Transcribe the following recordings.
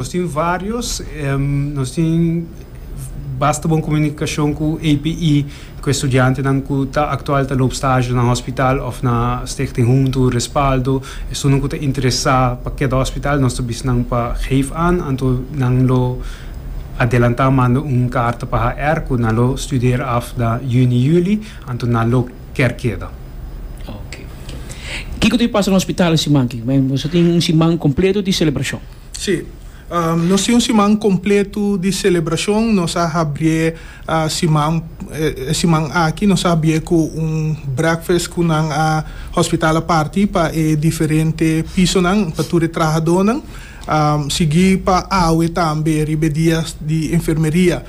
Nos tin varios, nos tin basta bon comunicacion cu APE, cu e studiantenan cu ta actual ta loop stage na hospital of na Stichting Huntu, Respaldo, esunnan cu ta interesa pa keda hospital nos ta bisa nan pa geef aan, anto nan lo adelanta manda un carta pa HR cu nan lo studera af na Juni, Juli, anto nan lo ker keda. Oke, kico ta e pasa na hospital e siman aki? Boso tin un siman completo di celebracion. Sí. Nos tin un siman completo di celebracion. Nos a habrié siman, e siman aki nos a habrié cu un breakfast cu nan a hospital a parti pa e diferente pisonan, pa tur e trahadornan. Sigui pa awe tambe riba e dia di enfermeria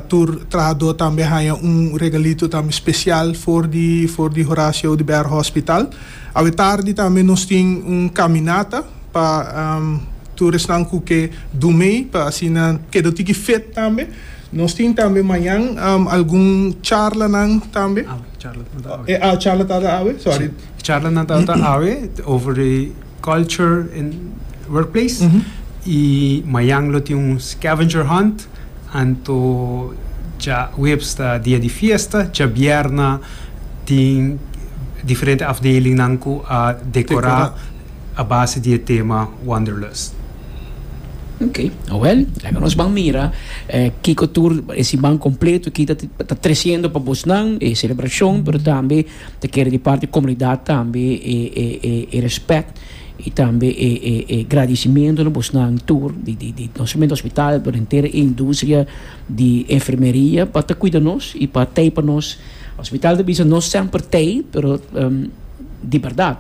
tur trahador tambe a haña un regalito tambe special for di for di Horacio de Berg Hospital. Awe tardi tambe nos tin un caminata. pa tur esnan cu ke do mee pa asina keda tiki fit tambe. Nos tin tambe mañan algun charlanan tambe. Awe, charla nan ta awe. E charla tata awe, sorry. Si, charla nan tata awe over the culture in workplace. Y mañan lo tin un scavenger hunt anto dja huebs ta dia di fiesta, djabierna tin diferente afdeling nan cu a decora. a base di e tema Wanderlust. Ok, awel, laga nos ban mira kiko tur e siman kompleto aki ta ta tresiendo pa bosnan, e selebrashon, pero tambe ta kere di parti komunidat tambe e e e e respèt i tambe e e e gradisimentu na bosnan tur di di di no solamente hospital pero henter e industria di enfermeria pa ta kuida nos i pa tei pa nos. Hospital ta bisa no semper t'ey pero di berdad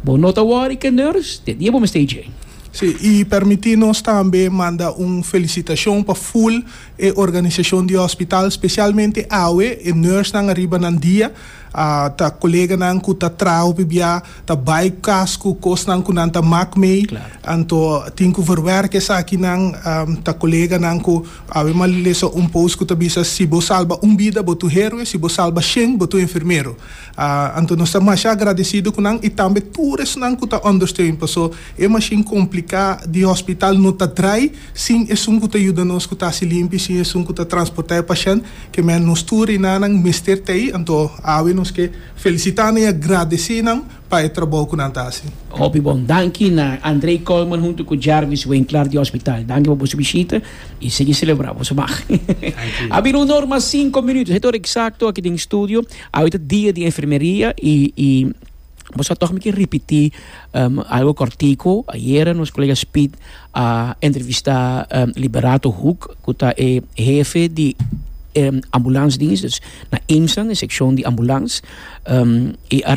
bo no ta worry ke nurse te dia bo mester dje. Sí, y permití nos tambe manda un felicitacion pa full e organisacion di hospital, specialmente awe e nursenan ariba nan dia, ta coleganan cu ta traha hopi bia, ta bay cu cas cu cosnan cu nan ta mak mey, anto tin cu verwerk esakinan, ta coleganan cu. Ave ma lesa un post ku ta bisa, Si bo salba un bida, bo ta un heroe, si bo salba shen, bo ta un enfermero. Anto nos ta masha agradesido ku nan i tambe tur esnan ku ta ondersteun, paso e mashin kompliká di hospital no ta drai sin esun ku ta yuda nos ku ta hasi limpi, sin esun ku ta transportá e pashènt, ke men nos tur reinanan mester ta ei. Anto ave nos ke felisitá nan i agradesé nan. pa e trabou ku nan ta hasi. Hopi bon. Danki na André Coleman huntu ku Jarvis Winkler di Hospital. Danki pa boso bishita i sigui selebrá boso mag. A bira un or mas sinku minuto. Esei ta ora eksakto aki den studio. Awe ta dia di enfermeria i boso a tòg mi ke ripití algu kòrtiku. Ayera nos kolega Speed a entrevistá Liberato Hoek ku ta e hefe di ambulansdienst na IMSAN, e sekshon di ambulans. i a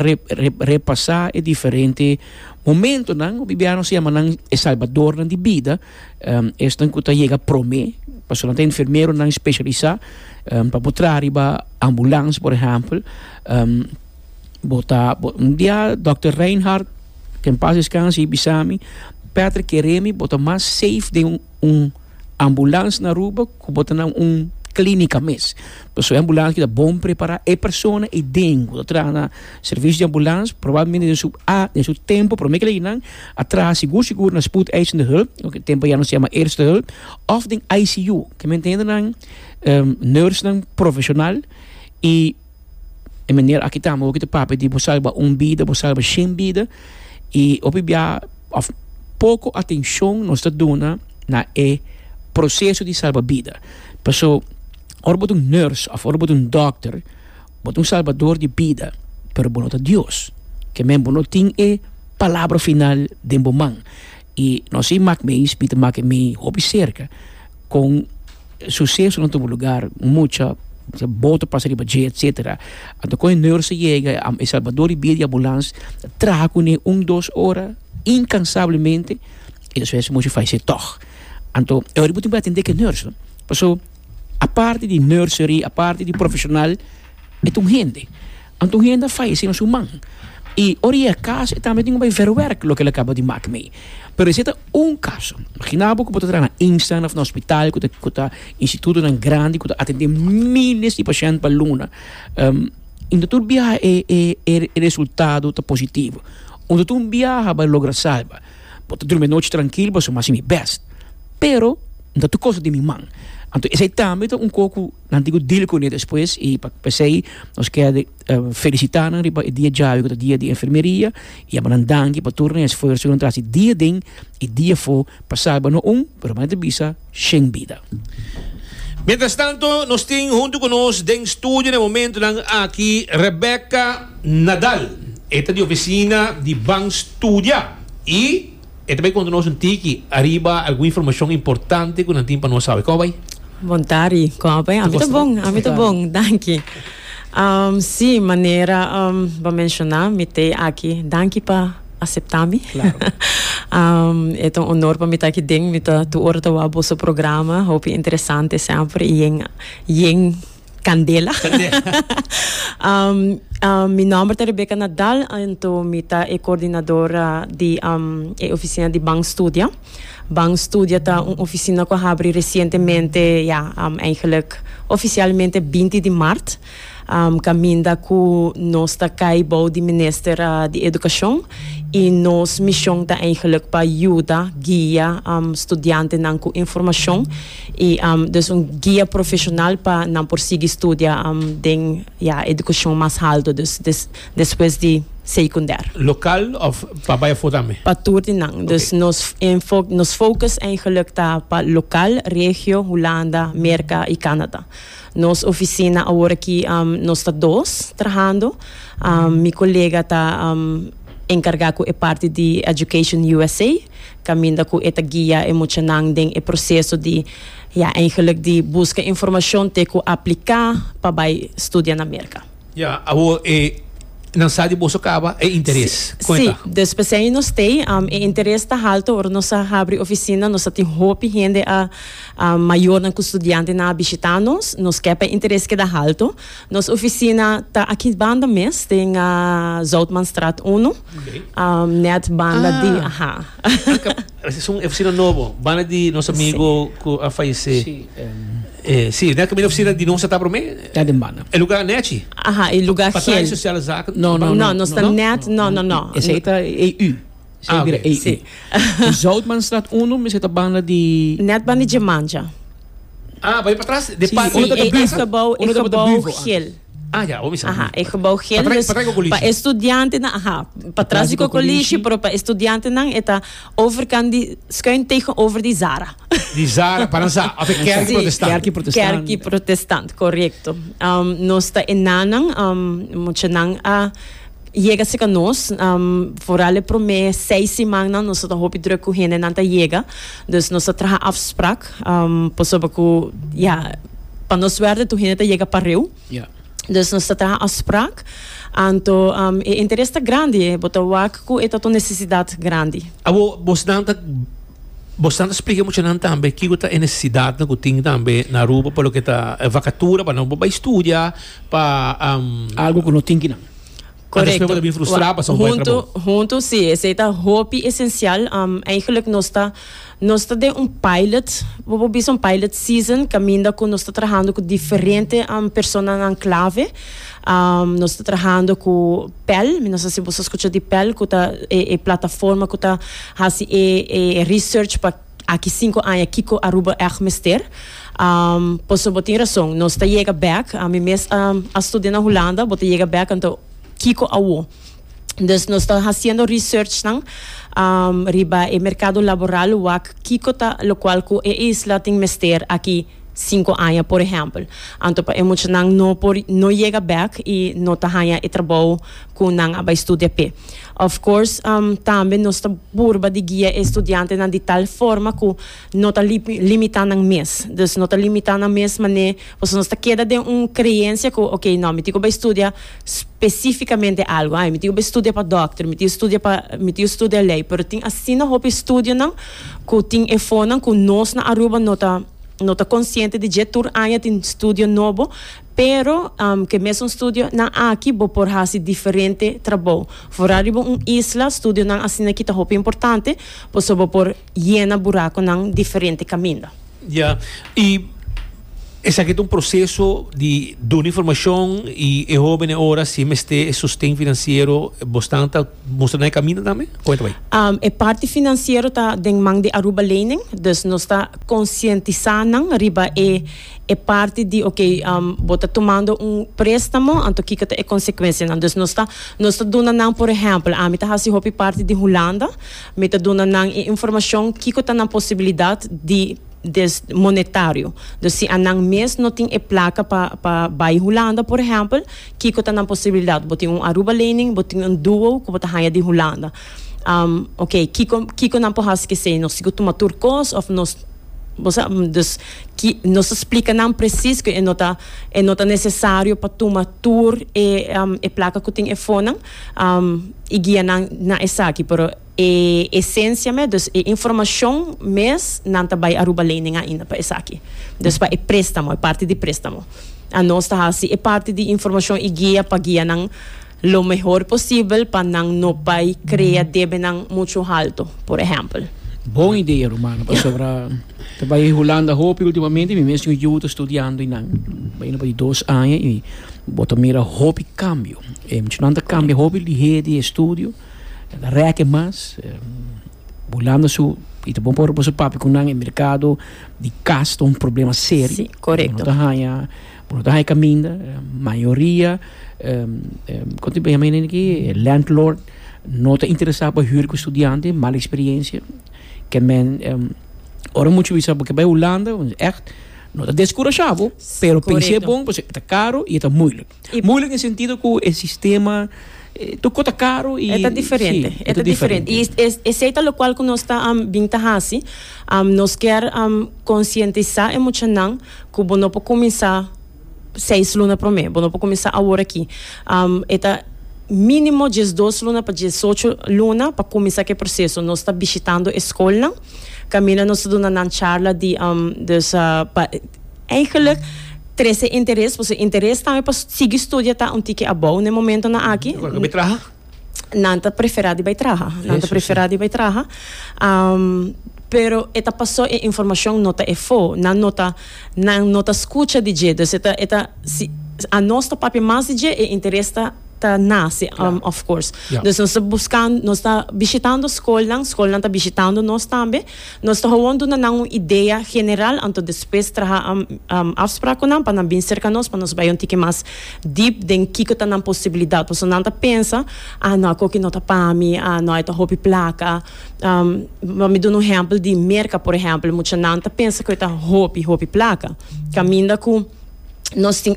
repasá e diferente momentonan ku bibianan si yama nan e salbadornan di bida. Esnan ku ta yega promé, pasobra nan ta enfermeronan speshalisá pa bo traha riba ambulans, por ehèmpel. bo ta, un dia dòkter Reinhard, ke en pas deskanse, i bisa mi, Patrick, keremi bo ta mas safe den un. un ambulans na Aruba ku bo ta na un klínika mes. Pasobra e ambulans ki ta bon prepará. E persona i den ku ta traha na servisio di ambulans probablemente den su den su tempu promé keligí nan a traha sigur sigur na spoedeisende hulp, lo ku tempu ayano se yama eerste hulp, òf den ICU. Ke mi entiende nan nursenan profeshonal i. E manera aki tambe hopi ta papia di bo salba un bida, bo salba shen bida y hopi bia of poco atencion nos ta duna na e proceso di salba bida. Paso ora bo ta un nurse of ora bo ta un doctor bo ta un salbador di bida pero bo no ta Dios. Ke men bo no tin e palabra final den bo man. Y no así maak mi eis mi ta maak e mi hopi cerca con suceso na tubo lugar, mucha boto pasa riba dje etcetera. Anto con e nurse yega e salvador di bida di ambulans ta traha cune un dos ora incansablemente y despues mochi falece tog. Anto e ora bo tin por atende ke nurse no. Paso aparte di nursery, aparte di profesional e ta un hende. Anto un hende a fallecé na su man y ora e a cas e tambe tin cu bay verwerk loke el a caba di maak mee. Pero esey ta un caso. Imagina bo cu bo ta traha na instelling of na hospital cu ta cu ta institutonan grandi cu ta atende miles di pashent pa luna y no tur biaha e e e e resultado ta positivo. Bo no tur biaha bay logra salba. Bo ta drumi e nochi trankil pasobra mi a haci mi best pero no ta tur cosa di mi man. Anto esey tambe ta un co cu. Nan tin cu deal cu ne despues y p'esey nos ker felicita nan riba e dia djabi cu ta dia di enfermeria y a bo nan danki pa tur nan esfuerso cu nan ta haci dia den y dia for pa salba no un pero mei ta bisa shen bida. Mientras tanto nos tin hunto cu nos den studio n'e momentonan aki Rebecca Nadal, e ta di oficina di Ban Studia y. E ta bai konta nos un tiki ariba algun informashon importante ku nan tin pa nos sabe. Kòba bai? Bon tardi. Kòba bai? Ami ta bon. Ami ta bon. Danki. Sí, manera bo a menshoná, mi t'e aki. Danki pa aseptá mi. E ta un onor pa mi ta aki den. Mi ta tur ora ta wak boso programa. Hopi interesante semper. I yen, yen. Candela. mi nomber ta Rebecca Nadal, anto mi ta e coordinadora di e oficina di Bank Studia. Bank Studia ta un oficina cu a habri recientemente, ja, eigenlijk oficialmente 20 di maart, caminda cu nos ta cay bou di Minister di Educacion y nos mision ta eigenlijk pa yuda, guia, studiantenan cu informacion. I dus un guia profesional pa nan por sigui studia den ya educacion mas halto, dus despues di secunder. Local of pa bay afo tambe? Pa tur di nan. Dus nos enfok, nos focus eigenlik ta pa local, regio, Hulanda, Merca y Canada. Nos oficina awor aki nos ta dos trahando. Mi colega ta encarga cu e parti di Education USA caminda cu e ta guia e muchanan den e proceso di ya eigenlijk di busca informacion te cu aplica pa bay studia na Merca. Ya, awor e nan sa di boso caba e interes. Con e ta? Si, despues ain nos tey. E interes ta halto ora nos a habri oficina, nos a tin hopi hende a mayornan cu studiantenan a bishita nos, nos ke pa e interes keda halto. Nos oficina ta aki banda mes den Zoutmanstraat uno. Net banda di aha. Esun e oficina nobo, banda di nos amigo cu a fallece. Si, net caminda oficina di nos ta prome? Ta den banda. E lugar Nechi? Aha, e lugar gel. Patrain Sociale Zaken? No, no, no. Nos ta net, no, no, no. Esey ta EU. Esey bira EU. Si. Zoutmanstraat uno, mi seta banda di. Net banda di Jemanja. Ah, bai patras, de patras. Si, e gebouw gel. Ah ya, omi sa. Aha, e gebou geel dus pa e studiantenan, aha, pa tras di kokolishi, pero pa e studiantenan e ta overkant di, skuin tegenover di Zara. Di Zara, pa nan sa, of e kèrki protestant. Kèrki protestant. Kèrki protestant, korekto. Nos ta e nanan, muchanan a. Yega cerca nos, vooral e prome seis simannan nos ta ta hopi druk cu hendenan ta yega, dus nos ta traha afsprak pasobra cu ya pa nos suerte tur hende ta yega pareu, dus nos ta traha afsprak, anto e interes ta grandi, bo ta wak cu e ta ta un necesidad grandi. Awor bosnan ta bosnan ta splica e muchanan tambe kico ta e necesidadnan cu tin tambe na Aruba pa loke ta e vacatura pa nan por bay studia, pa. Algo cu no tin kinan. Correcto. Huntu, huntu si, esey ta hopi esencial. Um, eigenlijk nos ta, nos ta den un pilot, bo por bisa un pilot season, caminda cu nos ta trahando cu diferente um personanan clave. Um, nos ta trahando cu pel, mi no sa si boso a scucha di pel, cu ta e, e plataforma cu ta haci e, e research pa. Aki sinku aña kiko Aruba èg mester? Pasobra bo tin rason, nos ta yega bèk. Mi mes a studia na Hulanda, bo ta yega bèk anto kiko awo? Dus nos ta hasiendo researchnan riba e merkado laboral wak kiko ta lokual ku e isla tin mester aki. sinku aña, por ehèmpel. Anto pa e muchanan no por no yega bèk i no ta haña e trabou ku nan a bai studia p'e. Of course, tambe nos ta purba di guia e studiantenan di tal forma ku no ta limitá nan mes. Dus no ta limitá nan mes manera pasobra nos ta keda den un kreensia ku okey nò, mi tin ku bai studia spesífikamente algu. Ai, mi tin ku bai studia pa dòkter, mi tin studia pa, mi tin studia lei. Pero tin asina hopi studionan. Cu tin efonan cu nos na Aruba no ta no ta consciente di dje, tur aña tin studio nobo, pero cu e mesun studio nan aki bo por haci diferente trabou. Fora riba un isla, studionan asina aki ta hopi importante, pasobra bo por yena buraconan diferente caminda. Ya, i esaki ta un proseso di duna informashon i e hóbennan e ora si e mester e sosten finansiero, bo stan ta mustra nan e kaminda tambe? Kuenta bai. Um, e parti finansiero ta den man di Aruba Lening, dus nos ta konsientisá nan riba e e parti di oke, um, bo ta tumando un préstamo, anto kiko ta e konsekuensianan? Dus nos ta nos ta duna nan, por ehèmpel, ami ta hasi hopi parti di Hulanda, Mi ta duna nan e informashon kiko ta nan posibilidat di des monetario. Dus si anan mes no tin e plaka pa pa bai Hulanda por ehèmpel, kiko ta nan posibilidat? Bo tin un Aruba lening, bo tin un duo ku bo ta haña di Hulanda. Am, ok, kiko kiko nan por hasi ki esei? Nos tin ku tuma tur kos òf nos, bo sa? Dus ki nos ta splika nan presis ku e no ta e no ta nesesario pa tuma tur e e plaka ku tin e fónan. i guia nan na esaki, pero e esencia mes, dus e informacion mes nan ta bay Aruba Lening ainda pa esaki. Dus pa e prestamo, e parti di prestamo, anos ta haci e parti di informacion i guia pa guia nan lo mehor posibel pa nan no bay crea debenan mucho halto, por ehempel. Bon idea, rumana, pasobra. Ta bai e Hulanda hopi ultimamente, mi mes un yu ta studiando y nan. Baina pa di dos aña y bo ta mira hopi cambio. E michonan ta cambia hopi lihe di e studio, nan ta reke mas. Hulanda su, y ta bon pa ora boso papia cu nan, e mercado di cas ta un problema serio. Si, correcto. Bo no ta haya, bo no ta haya caminda. Mayoria con tin bo yama e nene aki? Landlord no ta interesa pa hür cu studiante, mala experiencia. Ke men ora muchu bisa bo ke bai Hulanda èkt no ta deskurashá bo, pero pens'é bon pasobra e ta karu i e ta muilik. Muilik den sentido ku e sistema tur kos ta karu i e ta diferente. E ta diferente. I esei ta lokual ku nos ta bin ta hasi, nos ker konsientisá e muchanan ku bo no por kuminsá. seis luna prome bo no por cuminsa awor aki e ta minimo diesdos luna pa diesocho luna pa cuminsa ke proceso nos ta bishitando e schoolnan caminda nos ta duna nan charla di dus pa eigenlijk trece interes pues e interes tambe pa sigui studia ta un tiki abao na e momentonan aki. nan ta preferá di bai traha. Nan ta preferá di bai traha. Um, pero e ta pasó e informashon no ta e fo. Nan no ta, nan no ta skucha di dje. Dus e ta, e ta, si, a nos ta papia mas di dje, e interes ta, ta nase, um, of course. Ja. Dus nos ta buskan, nos ta bishitando skolnan, skolnan ta bishitando nos tambe. Nos ta howon duna nan un idea general anto despues traha afsprak ku nan pa nan bin serka nos pa nos bai un tiki mas deep den kiko ta nan posibilidat pasobra nan ta pensa ah no akoki no ta pa mi ah no ai ta hopi plaka lo mi duna un ehempel di Merka por ehempel mucha nan ta pensa ku e ta hopi hopi plaka kaminda ku nos tin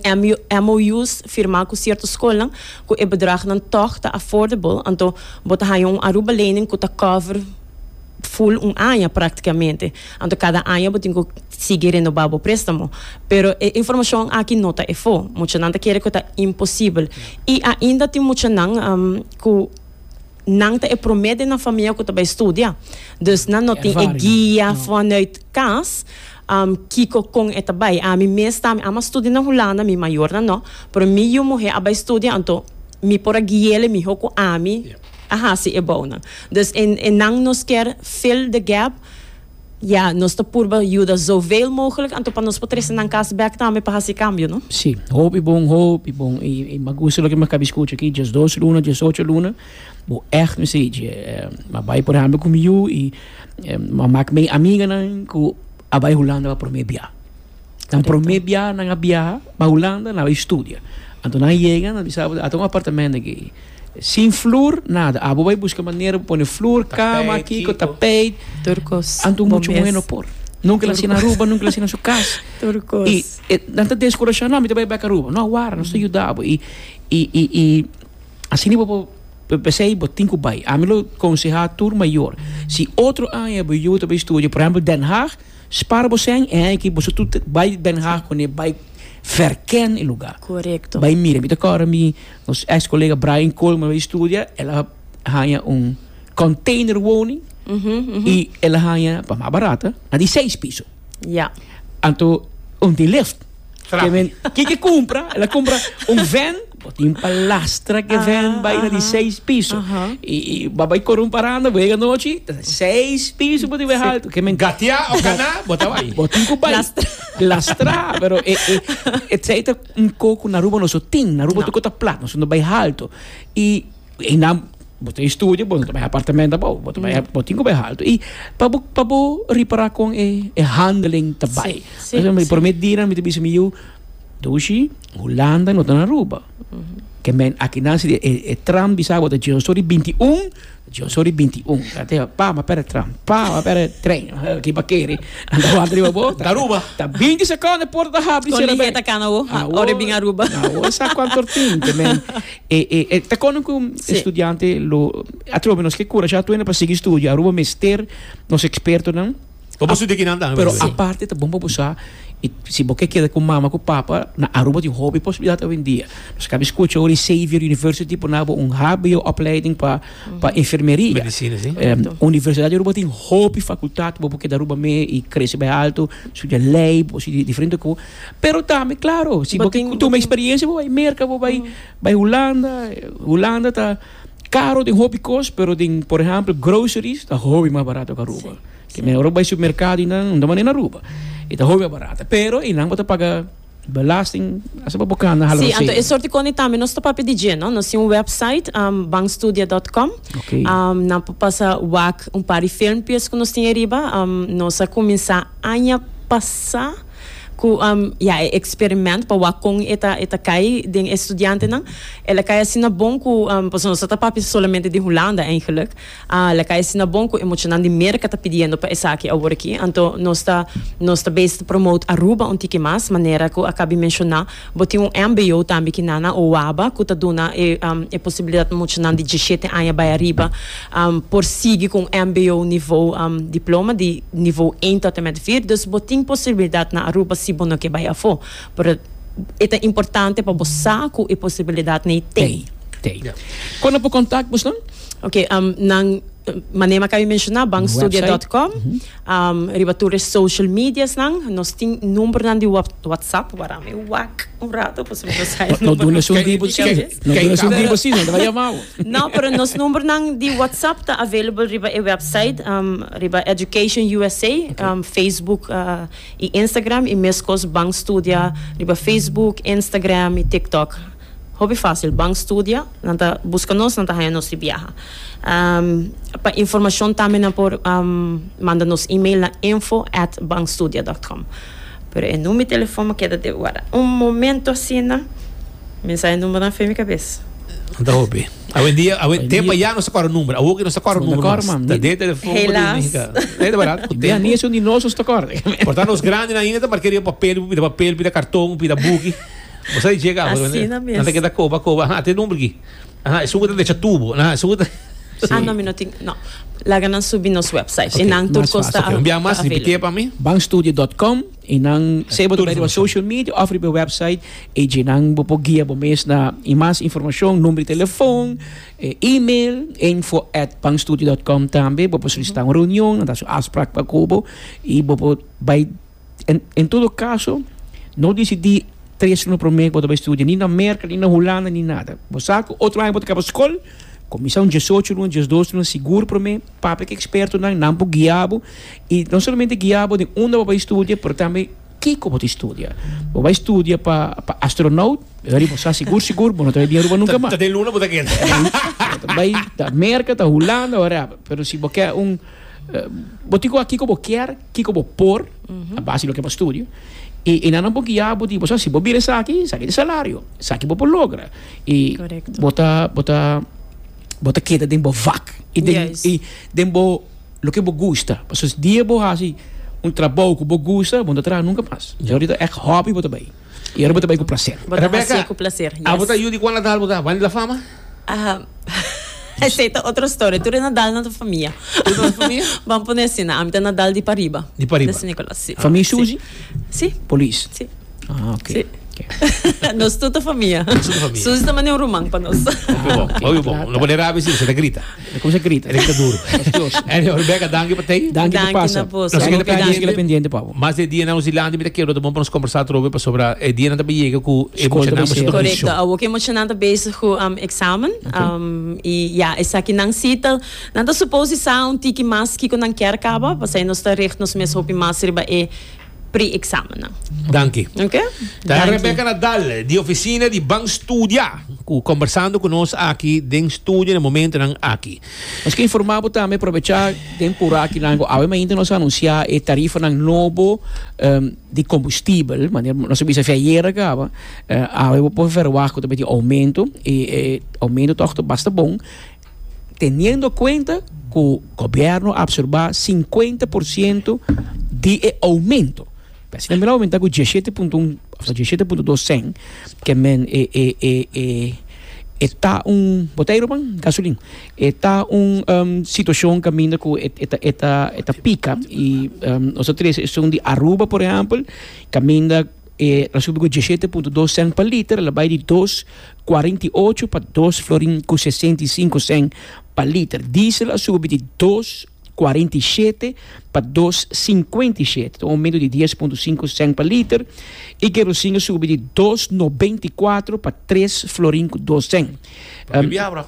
MOUs firma ku sierto skolnan ku e bedrag nan tog ta affordable anto bo ta haña un Aruba lening ku ta cover full un aña practicamente anto cada aña bo tin cu sigui renoba bo prestamo pero e informacion aki no ta efo mucha nan ta kere cu ta imposible y ainda tin mucha nan cu nan ta e prome den nan famia cu ta bay studia dus nan no tin e guia vanuit cas kico con e ta bay ami mes ta mi a mas studia na Hulanda mi mayornan no pero mi yu muhe a bay studia anto mi por a guiele miho cu ami. a hasi e bounan. Dus e e nan nos kier fill the gap, ya nos ta purba yuda zoveil mogelijk anto pa nos por trese nan kas bek tambe pa hasi kambio no. Sí, hopi bon, hopi bon. I i m'ha gusta loke m'akaba di skucha aki, djes dos luna, djes ocho luna, bo ègt mi si dje. M'a bai por ehèmpel ku mi yu i m'a mak mei amiganan ku a bai Hulanda pa promé biaha. Nan promé biaha nan a biaha pa Hulanda, nan a bai studia. Anto nan yega, nan bisa abo, ato un apartamento aki. Sin flur, nada. Abo bai buska manera pa pone flur, kama, Tapijt, kiko, kiko. tapijt. Tur kos. Anto muchu Bo muhé mes. no por. Nunke el a asina Aruba, nunke el a asina su kas. Tur kos. I e, nan ta deskurashá, no, mi ta bai bèk Aruba. No, a wara, nos ta yuda bo. I, i, i, i asina bo por p'esei bo tin ku bai. Ami lo konsehá tur mayor, si otro aña bo yuda ta bai studia, por ehèmpel Den Haag, Spara bo sèn e aki boso tur ta bai Den Haag kuné bai verken e lugá. Korekto. Bai mira. Mi ta kòrda mi nos eks kolega Brian Coleman bai studia, el a haña un kònteiner woning i el a haña pa mas barat na di seis piso. Ya. Anto un di lift. Trapi. Ke men ke ke kumpra, el a kumpra un vèn. Bo tin palastra ke ven bai na di seis piso. I i bo bai kore un paranda, bo yega nochi, seis piso bo tin bai haltu. Ke men Gatia o kana, bo ta bai. Bo tin ku bai lastra, pero e e e tsei ta un ko ku na Aruba no so tin. Na Aruba tur ko ta plat, no so no bai haltu. I e nan bo ta e studio, bo no ta bai apartamento abou, bo ta bai bo tin ku bai haltu. I pa bo pa bo ripara kon e e handling ta bai. Promé dianan mi ta bisa mi yu, Dushi. Hulanda no ta na Aruba. Ke men akinan si e, e tram di Sabo ta John Story 21, John Story 21. Ate pa ma pere tram, pa ma pere tren. Ki pa kere. Anda wanta riba bo. Ta Aruba. Ta 20 sekonden por ta habri Kon sera lihia ta kana wo, ha, ora e bin Aruba. Awo sa kwanto tin ke men e e e ta kono ku Sí. estudiante lo atrobe nos ke kurashá tuena pa sigui studio. Aruba mester nos ekspertonan Bo por su di kinan tambe. Pero aparte ta bon pa bo sa i si bo ke keda ku mama ku papa na Aruba tin hopi posibilidat hoendia. Nos kabi skucha ora di Xavier University por naba un hbo opleiding pa pa enfermeria. Medisina si. Universidat di Aruba tin hopi fakultat bo por keda Aruba mee i krese bai alto, studia lei, bo por studia diferente ku. Pero tambe klaro si bo ke tuma eksperiensia bo bai Merka bo bai Hulanda, Hulanda ta. Caro den hopi cos, pero den por ehempel groceries ta hopi mas barato cu Aruba. Ke men ora bo bay supermercado y nan, unda manera na Aruba. E ta hopi mas barato. Pero e nan bo ta paga belasting hasta pa bo cana hala rosero. Sí, anto e sort di cone tambe nos ta papia di dje, no? Nos tin un website, um, bankstudia dot com. Ok. Um, nan por pasa wak un par di filmpies cu nos tin ariba. Um, nos a cuminsa aña pasa. Cu ya e experiment pa wak con e ta e ta cay den e studiantenan. El a cay asina bon cu, pasobra nos a ta papia solamente di Hulanda eigenlijk, el a cay asina bon cu e muchanan di Merca ta pidiendo pa esaki awor aki. Anto nos ta nos ta bezig ta promote Aruba un tiki mas, manera cu a cabí menciona. Bo tin un mbo tambe ki na na Oaba ku ta duna e e posibilidat muchanan di dieshete aña bai ariba por sigui ku un mbo nivo diploma di nivo ein tòt en met vir. Dus bo tin posibilidat na Aruba si bo no ke bai afó. Pero e ta importante pa bo sa ku e posibilidatnan ei t'ei. Kon nan por kontak bosh nan? Oke, nan manera mi a kaba di menshona, banstudia dòt kòm. Riba tur e social mediasnan. Nos tin numbernan di WhatsApp. Waraam e wak un rato pasobra mi no sa e numbernan. No duna su number tin aves. No duna su number tin, anta ba yama bo. No, pero nos numbernan di WhatsApp ta available riba e website, riba Education usa, Facebook i Instagram, i meskos Bank Studia riba Facebook, Instagram i TikTok. Hopi fásil ban studia, nan ta buska nos, nan ta haña nos di biaha. Pa informashon tambe nan por manda nos email na info at banstudia dòt kòm. Pero e numi telefòn bo keda debe guardá. Un momentu asina, mensahe numbernan fe mi kabes. Nan ta hopi. Awendia, awen, te pa ya nos ta kòrda number. Awo ke nos ta kòrda number mas. Nos ta kòrda mas. Ta den telefòn bo di mi. Helaas. Hika. Ei ta barat. Ku tempu. Di anuncio di nos, nos ta kòrda. Por ta nos grandi nan ainda ta mark'é riba papel, bo pida papel, pida karton, pida buki. Bosa di chega pues Asina mes. Nanta keda koba koba ha te dun briki. Aha e sugu ta decha tubo. Aha e sugu ta Ah no mi no tin no. Laga nan subi nos website. Okay, e nan tur mas kos ta fácil. Envia mas repite pa mi. Banstudio.com i nan sea bo ta beri bo social media of riba e website i dje nan bo por guia bo mes na i mas informacion, number di telefon, e email, info at banstudio.com tambe bo por solicita un reunion nan ta haci un afspraak pa cu bo i bo por bai En, en todo caso, no decidí tres aña promé cu bo ta bay studia, ni na Merca, ni na Hulanda, ni nada. Bo sa cu otro aña bo ta caba scol, cuminsá un diesocho luna, diesdos luna sigur promé, papia cu e expertonan, nan por guia bo, y no solamente guia bo den unda bo bay studia, pero tambe kico bo ta studia. Bo bay studia pa, pa astronaut, Heri, bo sa sigur, sigur, bo no ta bay bia Aruba nunca mas. Ta den luna bo ta keda. Bo ta bay ta Merca, ta Hulanda, wharever. Pero si bo kier un, eh, bo tin cu a kico bo kier, Kiko bo por, a base di loke bo a studio. I e nan a bo guia bo di, Boso, si bo bira esaki, esaki e salario. Esaki bo por logra. I bo ta, bo ta, bo ta keda den bo vak. I den, i den bo, loke bo gusta. Pasobra dia bo hasi un trabou ku bo gusta, bo no ta traha nunka mas. Boso abarita èk hòbi bo ta bai. I arobo ta bai ku plaser. Bo ta hacié ku plaser. Yes. Rebecca, abo ta yu di cuan latal bo ta banda la fama? Aham. Esei ta otro storia. Tur e Nadal nan ta famia. Tur nan ta famia? Ban pone asina. Ami ta Nadal di pariba. Di pariba. De San Nicolas, si. Famia Suzy? Si. Polis? Si. Ah, ok. Si. Ok. Nos tur ta famia. Nos tur ta famia. Suzy ta mane un ruman pa nos. Hopi bon. Hopi bon. No pone rabia si bo sa ta grita. E kos a grita, e grita duru. Anyhow Rebecca danki pa tei. Danki pa pasa. Nos keda pende nos keda pendiente pa bo. Mas de dia nan Hosilandi mi ta kero ta bon pa nos kombersá atrobe pasobra e dia nan ta bai yega ku e muchanan bai ser ofensyon. Korekto, awo ku e muchanan ta bezig ku eksamen i ya esaki nan sita. Nan ta supos di sa un tiki mas kiko nan kier kaba, pasai nos ta richt nos mes hopi mas riba e. pre-examennan. Danki. Oke. Ta e Rebecca Nadal di Oficina di Ban Studia cu combersando cu nos aki den studio na momentonan aki. Nos quiere informa bo tambe, probecha den pura aki lango, awe mainta nos a anuncia e tarifanan nobo di combustibel, manera bo nos a bisa afia ayer a caba, awe bo por verwacht cu ta meti aumento y e aumento toch ta basta bon. Teniendo cuenta cu gobierno a absorba cincuenta por ciento di e aumento, ta asina men a aumenta cu diesisiete punto un ofta diesisiete punto dos cen, ke men e e e e e ta un botei ruman gasolin e ta un situacion caminda cu e e e ta e ta pica y nos ta trece esun di Aruba por ehempel caminda E ta subi ku diesiete punto dos sèn pa liter, lo bai di dos kuarenta i ocho pa dos florin ku sesenta i sinku sèn pa liter. Diesel a subi di dos kuarenta i shete pa dos sinkuenta i shete, ta un oumento di dies punto sinku sèn pa liter, i kerosin a subi di dos nobenta i kuater pa tres florin ku dos sèn. Lo ke biabra.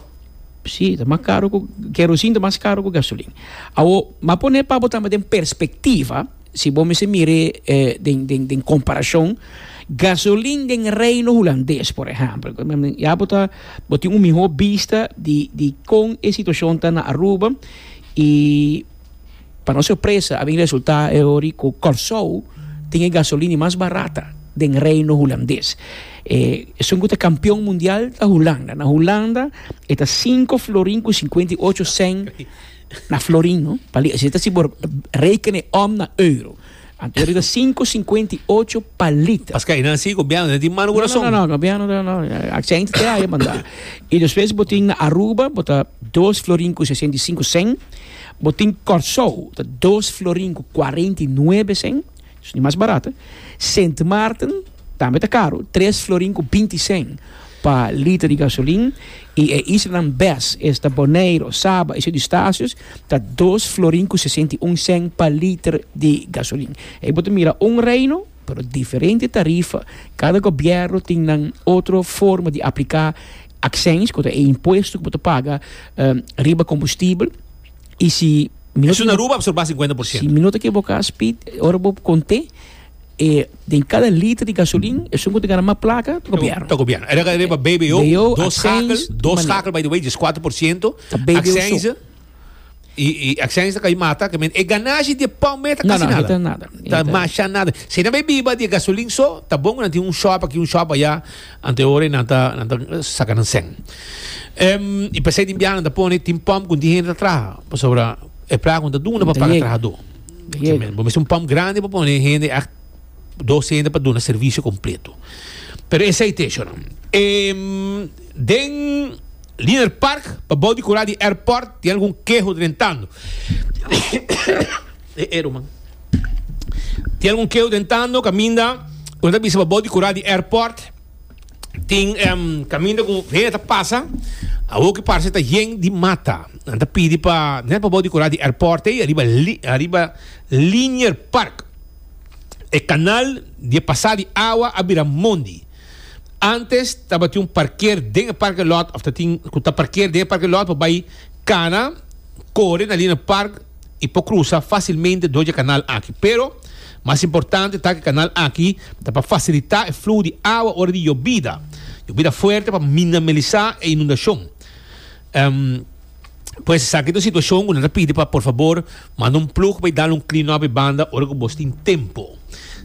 Sí, ta mas karu ku, kerosin ta mas karu ku gasolin. Awor, m'a pone pa bo tambe den perspektiva. Si bo mester mir'é den den den komparashon, gasolin den Reino Hulandes, por ehèmpel, ya bo ta bo tin un mihó bista di di kon e situashon ta na Aruba i pa nos sorpresa a bin resultá e hori ku Kòrsou tin e gasolin di mas barata den Reino Hulandes. E esun ku ta kampion mundial ta Hulanda. Na Hulanda e ta sinku florin ku sinkuenta i ocho sèn Na florin no pali así ta si por rekene om na euro anto ora ta sinku sinkuenta i ocho pa liter. Paske ainan si gobièrnu ta tin malu kurason. No no no gobièrnu ta no aksènte te aya banda. I despues bo tin na Aruba bo ta dos florin ku sesenta i sinku sèn, bo tin Kòrsou ta dos florin ku kuarenta i nuebe sèn. Sni mas barat. Sint Maarten tambe ta karu, tres florin ku binti sèn pa liter di gasolin, i e islanan bes esta Boneiru, Saba i Sint Eustatius ta dos florin ku sesenta i un sèn pa liter di gasolin. Ei bo ta mira un reino, pero diferente tarifa. Kada gobièrnu tin nan otro forma di apliká aksèns, ku ta e impuesto ku bo ta paga riba kombustibel. Y si mi no ta ekiboká. Aruba absorbá sinkuenta por siento. Si mi no ta ekiboká Speed, ora bo kont'é e den kada liter di gasolin esun ku ta gana mas plaka ta gobièrnu. Ta gobièrnu. Era riba BBO, dos skakel, dos skakel by the way, di es kuater por siento, aksènse, i aksènse ta kai mata, ke men e ganashi di e pòm ei ta kasi nada. No no, ei ta nada. Ta mashá nada. Si e na bai biba di e gasolin so, ta bon ku nan tin un shòp aki, un shòp ayá. Antehoren nan ta nan ta saca nan sen. Em, y pesey tin bianan ta pone tin pump con tin gente ta traha. Pasobra e placa con ta duna pa paga trahador. Así men. Bo mester un pump grande pa pone gente echt dos gente pa duna servicio completo. Pero esey te shona. Em, den Liner Park, pa bou di cura di airport, tin algun keho drentando. E Eruman. Tin algun keu den tando kaminda ku nan ta bisa pa bou di kura di airport. Tin kaminda ku hende ta pasa awor ku parse ta yen di mata. Nan ta pidi pa net pa bou di kura di airport ei ariba ariba Linier Park. E kanal di e pasa di awa a bira mondi. Antes tabatin un parker den e parke lòt òf tatin ku ta parker den e parke lòt pa bai kana kore na Linier Park. i por krusa fásilmente dor di e kanal aki. Pero, mas importante ta ku e kanal aki ta pa fasilitá e fluho di awa ora di yobida, yobida fuerte pa minamilisá e inundashon. Pues, esaki ta un situashon ku nan ta pidi pa por fabor manda un plug pa e dal un clean up e banda ora ku bos tin tempu.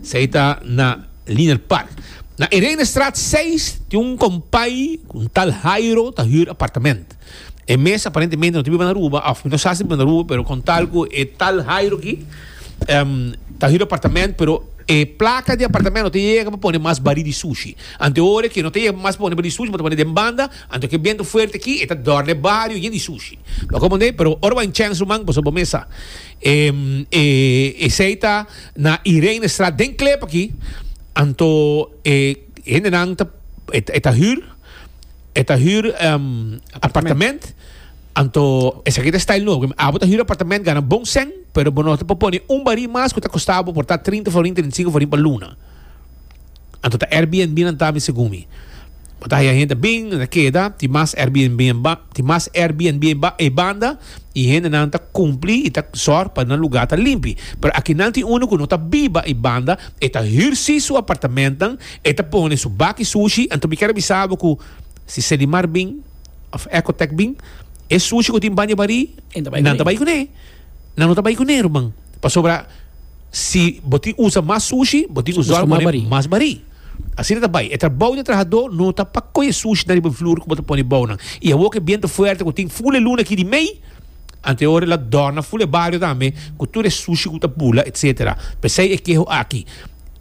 Esei ta na Liner Park. Na Irenestraat seis tin un kompay ku un tal Hairo ta hür apartament. E mes aparentemente no ta biba na Aruba of mi no sa si ta biba na Aruba pero con tal cu e tal Jairo aki ta hiro apartamento pero e placa di apartamento no ta yega pa pone mas bari di sushi. Anto e ora cu no ta yega mas pa pone bari di sushi bo ta pone den banda anto cu e biento fuerte aki e ta dorde e bario yen di sushi. Bo comprende mi? Pero ora bo a Inchens ruman pasobra bo mesa esey ta na Irenestraat den Klip aki anto e hendenan ta e ta hür. E ta hür um apartament. Anto esaki ta e style nuevo. Abo ta hür apartament, gana bon sèn, pero bo no ta por pone un barí mas ku ta kosta bo por ta trinta florin, trinta i sinku florin pa luna. Anto ta Airbnb nan ta mi segun mi. Bo ta haña hende a bin, nan ta keda, tin mas Airbnb ba, tin mas Airbnb ba ei banda i hendenan ta kumpli i ta sòr pa nan lugá ta limpi. Pero akinan tin unu ku no ta biba ei banda, e ta hür sí su apartamentnan. E ta pone su baki sushi, anto mi kier a bisa bo ku si Sedimar bin òf Ecotec bin, e sushi ku tin baña barí nan ta bai kuné. Nan no ta bai kuné, ruman. Pasobra si bo tin usa mas sushi, bo tin usa mas barí. Asina ta bai. E trabou di e trahadó no ta pa kohe sushi nan riba e flur ku bo ta pone bou nan. I awor ku e bientu fuerte ku tin ful e luna aki di mei, anto e ora el a dòrna ful e bario tambe ku tur e sushi ku ta bula, etcetera. P'esei e keho aki.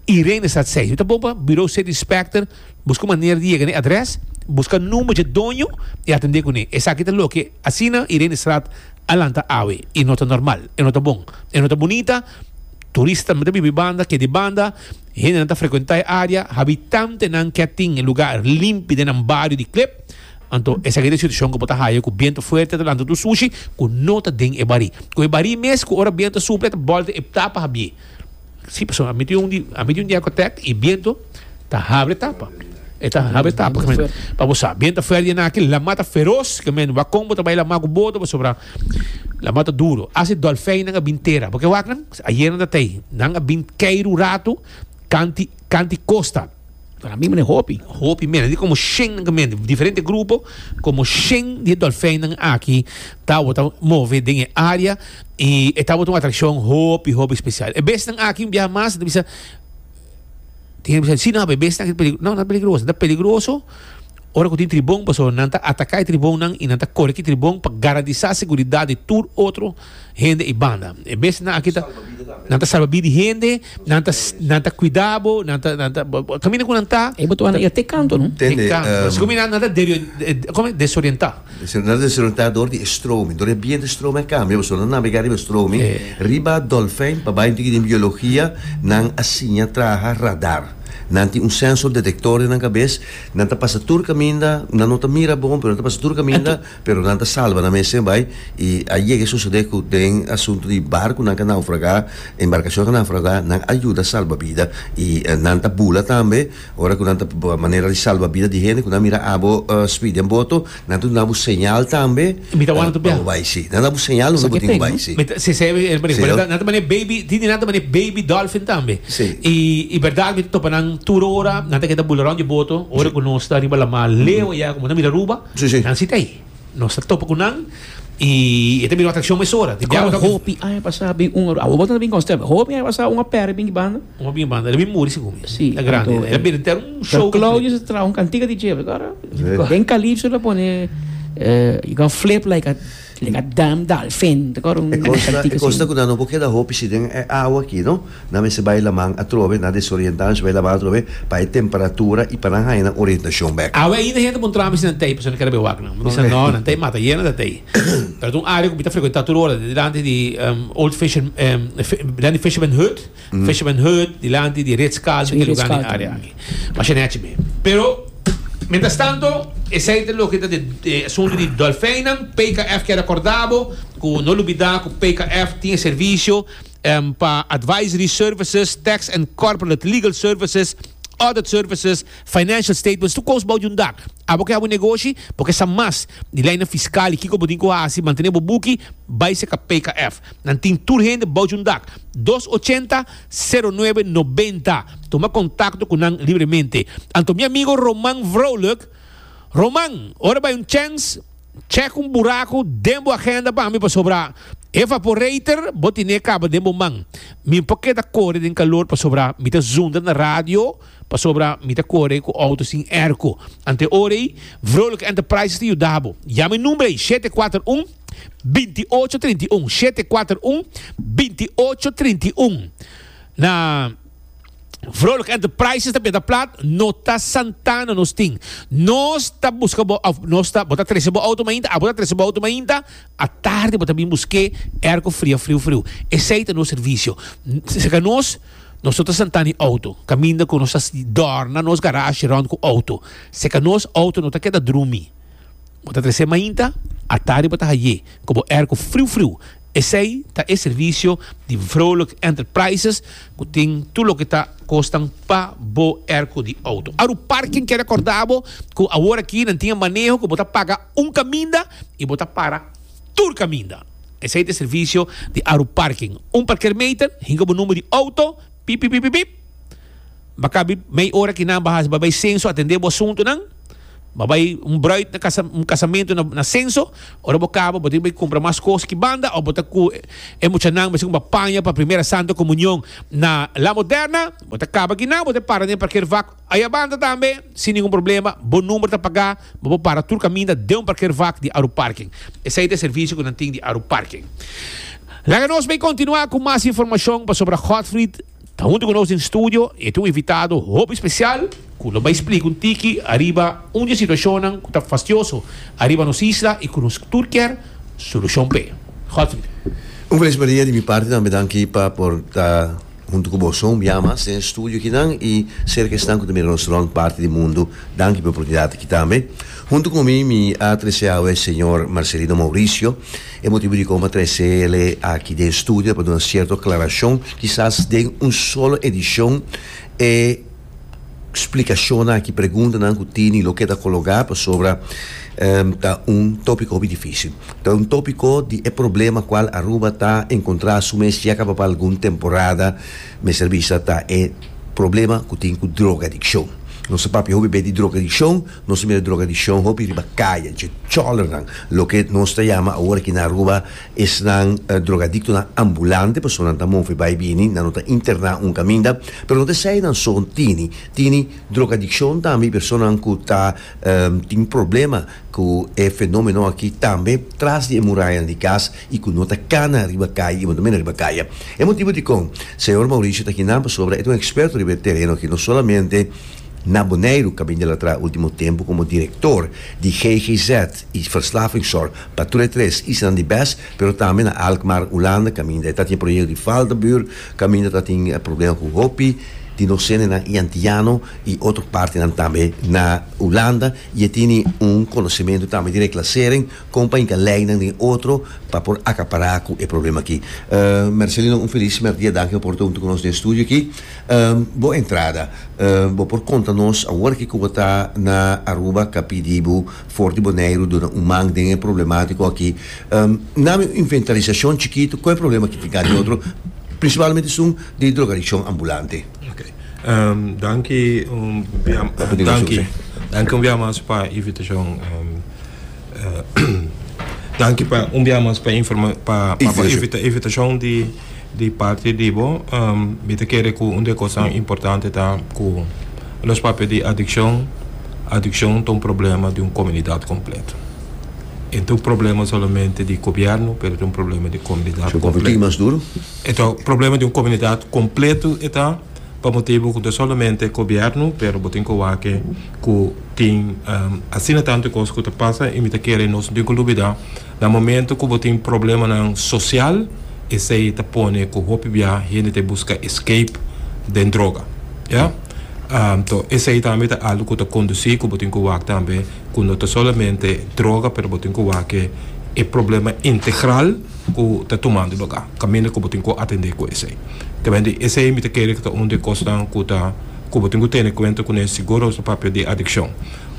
Irene sa tsei. Nu ta bon pa Bureau City Inspector, busca un manera di yega na e adres, busca number dje doño y atende cune. Esaki ta loke asina Irenestraat a lanta awe y no ta normal. E no ta bon. E no ta bunita. Turista tambe ta biba e banda, keda e banda. Hendenan ta frecuenta e area. Habitantenan ke tin e lugar limpi den nan bario di Klip. Anto esaki ta e situacion cu bo ta haya cu biento fuerte ta lanta tur sushi cu no ta den e barí. Cu e barí mes cu ora biento a supla e ta bolta e tapa habie. Si pasobra a mi tin un di a mi tin un diakotek i bientu ta habre tapa e ta habre tapa ke men pa bo sa bientu ta fuerte na aki lama ta feros ke men wak kon bo ta bai lama ku boto pasobra lama ta duro asi dolfeinnan a bin tera bo ke wak nan ayer nan ta tei nan a bin kei ru ratu kanti kanti kosta. Para mi mene hopi. Hopi mene. Di como shen nan mende. Diferente grupo. Como shen di dolfijn nan aki. Ta wata move den e área. Y e ta wata un atracción hopi hopi special. E bes nan aki un biaha mas. Ta bisa. Tin bisa. Si no e bes nan aki ta peligroso. No, no ta peligroso. Ta peligroso ora cu tin tribon. Pasobra nan ta ataca e tribon nan. Y nan ta core cu e tribon. Pa garantisa seguridad di tur otro. hende i banda. E bestinan aki ta, nan ta salba bida di hende, nan ta, nan ta kuida bo, nan ta, nan ta, kaminda ku nan ta. E bo ta wanda iya te kantu, no? Te kantu. Asina ku mi nan ta kome? Desorientá. Nan ta desorientá dor di e stromi. Dor di e bientu e stromi a kambia, pasobra nan navegá riba e stromi. Riba dòlfèn, pa bai un tiki den biologia, nan a siña traha radar. Nan tin un sensor detektor den nan kabes, nan ta pasa tur kaminda, nan no ta mira bon, pero nan ta pasa tur kaminda Pero nan ta salba nan mes en bai y a yega sucede cu den asunto di barconan ca naufraga, embarcacionnan ca naufraga, nan a yuda salba bida y nan ta bula tambe ora cu nan ta manera di salba bida di hende cu nan mira abo speed den boto, nan ta dunabo señal tambe pa bo bai, si, nan ta dabo señal unda bo tin cu bai, si. Si, si, e manera cu nan ta mane baby, tin di nan ta mane baby dolphin tambe y y berdad mi ta topa nan tur ora, nan ta keda bula rond di boto ora cu nos ta riba lamar leu aya como nan ta mira Aruba. Nan sita ahi. Nos ta topa cu nan y e ta bira un atraccion mesora. Di diablo ta cu. Hopi aña pasá bin un. Awo bo ta bin constable. Hopi aña pasá un apera a bin di banda. Un a bin banda. El a bin muri segun mi. Sí. El a grandi. El a bira enter un show. Pero Claudio sa ta traha un cantica DJ. Awe. Den Calypso el a pone, You can flip like a. Lenga dam, dalfin, ta kor un E cos na, e cos na cu nan no por keda hopi si den e awa aki, no? Nan mester bay laman atrobe, nan desorienta, nan mester bay laman atrobe pa e temperatura y pa nan haya nan orientacion bek. Awe ainda hende bon traha mi si nan tey, pasobra nan keda bay wak nan. Mi bisa no, nan tey mata yena ta tey. Pero ta un area cu mi ta frecuenta tur ora, den dilanti di Old Fisher, den di Fisherman Hut. Fisherman Hut, dilanti di Ritz Carlton, e lugan den area aki. Masha nechi mi. Pero, mientras tanto, esey ta loke ta e asunto di dolfeinnan. PKF kier acorda bo cu no lubida cu PKF tin e servicio pa advisory services, tax and corporate legal services, audit services, Financial statements tur kos bou di un dak. Abo ke habu negoshi, bo ke sa mas di leinan fiskal i kiko bo tin ku hasi mantene bo buki, bai seka PKF. Nan tin tur hende bou di un dak. Dos ochenta, sero nuebe, nobenta. Tuma kontakto ku nan libremente. Anto mi amigo Roman Vrolijk, Roman, ora bai un chèns, chèk un buraku den bo agenda pa mi pasobra evaporator bo tine kaba den bo man. Mi por keda kore den kalor pasobra mi ta zundra na radio. Pasobra mi ta kore ku outo sin èrku. Ante ora ei, Vrolijk Enterprises ta yuda bo. Yama e number ei, shete kuater un, binti ocho trinta i un, shete kuater un, binti ocho trinta i un. Na Vrolijk Enterprises ta benta plat, no ta Santana nos tin. Nos ta buska bo, òf nos ta, bo ta trese bo outo mainta? Abo ta trese bo outo mainta? Atardi bo ta bin busk'é èrku fria friu friu. Esei ta nos servisio. Serka nos. Nos no ta sentá n'e outo, kaminda ku nos ta dòrna nos garashi rònt ku outo. Si ka nos outo no ta keda drumi, bo ta tres'é mainta, atari bo ta hay'é ku bo èrku friu friu. Esei ta e servisio di Vrolijk Enterprises ku tin tur loke ta kosnan pa bo èrku di outo. Aru Parking ke rekòrda bo ku aworakí nan tin e maneho ku bo ta paga un kaminda i bo ta para. tur caminda. Esey ta e servicio di Aru Parking. Un parker meter hinca bo number di auto, pip pip pip pip. Ba cabi mei ora ki nan ba haci, ba bay censo atende bo asuntonan. Ba bay un bruid na casa, un casamento na, na censo. Ora bo caba bo tin bay cumpra mas cos ki banda of bo ta cu e muchanan mesey cu ba paña pa primera santa comunion na La Moderna. Bo ta caba ki nan bo ta para den e parker vak. Ayabanda tambe, sin ningun problema, bo number ta pagá, ma bo para tur kaminda den un parkeervak di Aru Parking. Esei ta e servisio ku nan tin di Aru Parking. Laga nos bai kontinuá ku mas informashon pasobra Godfried ta huntu ku nos den studio i e ta un invitado hopi spesial ku lo bai splika un tiki ariba un di e situashonnan ku ta fastioso ariba nos isla i ku nos tur kier solushon p'e. Godfried. Un felis Maria di mi parti tambe danki pa por ta. Huntu ku boso un biaha mas den e studio aki nan i serka esnan ku ta mira nos rònt parti di mundu, danki pa e oportunidat aki tambe. Huntu ku mi, mi a trese awe e señor Marcelino Mauricio. E motibu di kon mi a trese el'e aki den e studio e pa duna sierto aklarashon, kisas den un solo edishon e. splikashonnan aki, preguntanan ku tini loke ta kologá pasobra ta un topiko hopi difísil. Ta un topiko di e problema kual Aruba ta enkontrá su mes ya kaba pa algun temporada, mester bisa ta e problema ku tin ku drogadikshon. Nos ta papia hopi bes di drogadikshon, nos ta mira drogadikshon hopi riba kaya, dje chòlernan, loke nos ta yama awor aki na Aruba Esnan drogadictonan ambulante, personanan ta move bai bini, nan no ta interná un caminda, pero no ta esai nan so tini tini drogadiccion tambe y personanan cu ta tin problema cu e fenomeno aki tambe tras di e murayanan di cas y cu no ta cana riba caya y tambe na riba caya. E motibo dicon Señor Mauricio ta aki nan pasobra e ta un experto riba e tereno aki, no solamente na Boneiru, caminda el a traha ultimo tempo como director di GGZ y Verslavingszorg, Pa tur e tres isla nan di bes, pero tambe na Alkmaar, Hulanda, kaminda e ta tin e proyekto di Valtenbuur, kaminda ta tin problema ku hopi di nos sendenan i antiano i otro partinan tambe na Hulanda i e tini un konosementu tambe di reklasering kon pa hinka leinan den otro pa por akapará ku e problema aki. Mercelino, un felis mèrdia. Danki pa por ta huntu ku nos den estudio aki. Bo entrada, bo por konta nos awor ki ku bo ta na Aruba, kapí di bo. For di Boneiru duna un man den e problematiko aki. Na mi inventarisashon chikitu kon e problema ki tin kanta di otro prinsipalmente sun di drogadikshon ambulante. Ok. Danki un bia danki danki un bia mas pa invitashon danki pa un bia mas pa pa invitashon di Di parti di bo, mi ta kere ku un di e kosanan importante ta ku nos papia di adikshon. Adikshon ta un problema di un komunidat kompleto. E no ta un problema solamente di gobièrnu, pero e ta un problema di komunidat Su papia tin kompleto. mas duru? E ta problema di un komunidat kompleto e ta, pa motibu ku no ta solamente gobièrnu, pero bo tin ku wak ku tin asina tantu kos ku ta pasa i mi ta kere nos no tin ku lubidá. Na momento cu bo tin problemanan social, esey ta pone cu hopi bia hende ta busca escape den droga. Ya? To, esey tambe ta algo cu ta conduci cu bo tin cu wak tambe cu no ta solamente droga, pero bo tin cu wak ke e problema integral cu ta tumando lugar, caminda cu bo tin cu atende cu esey. Tawende esey mi ta kere cu ta un di e cosnan cu ta, cu bo tin cu tene cuenta cu ne si goroso papia di adiccion.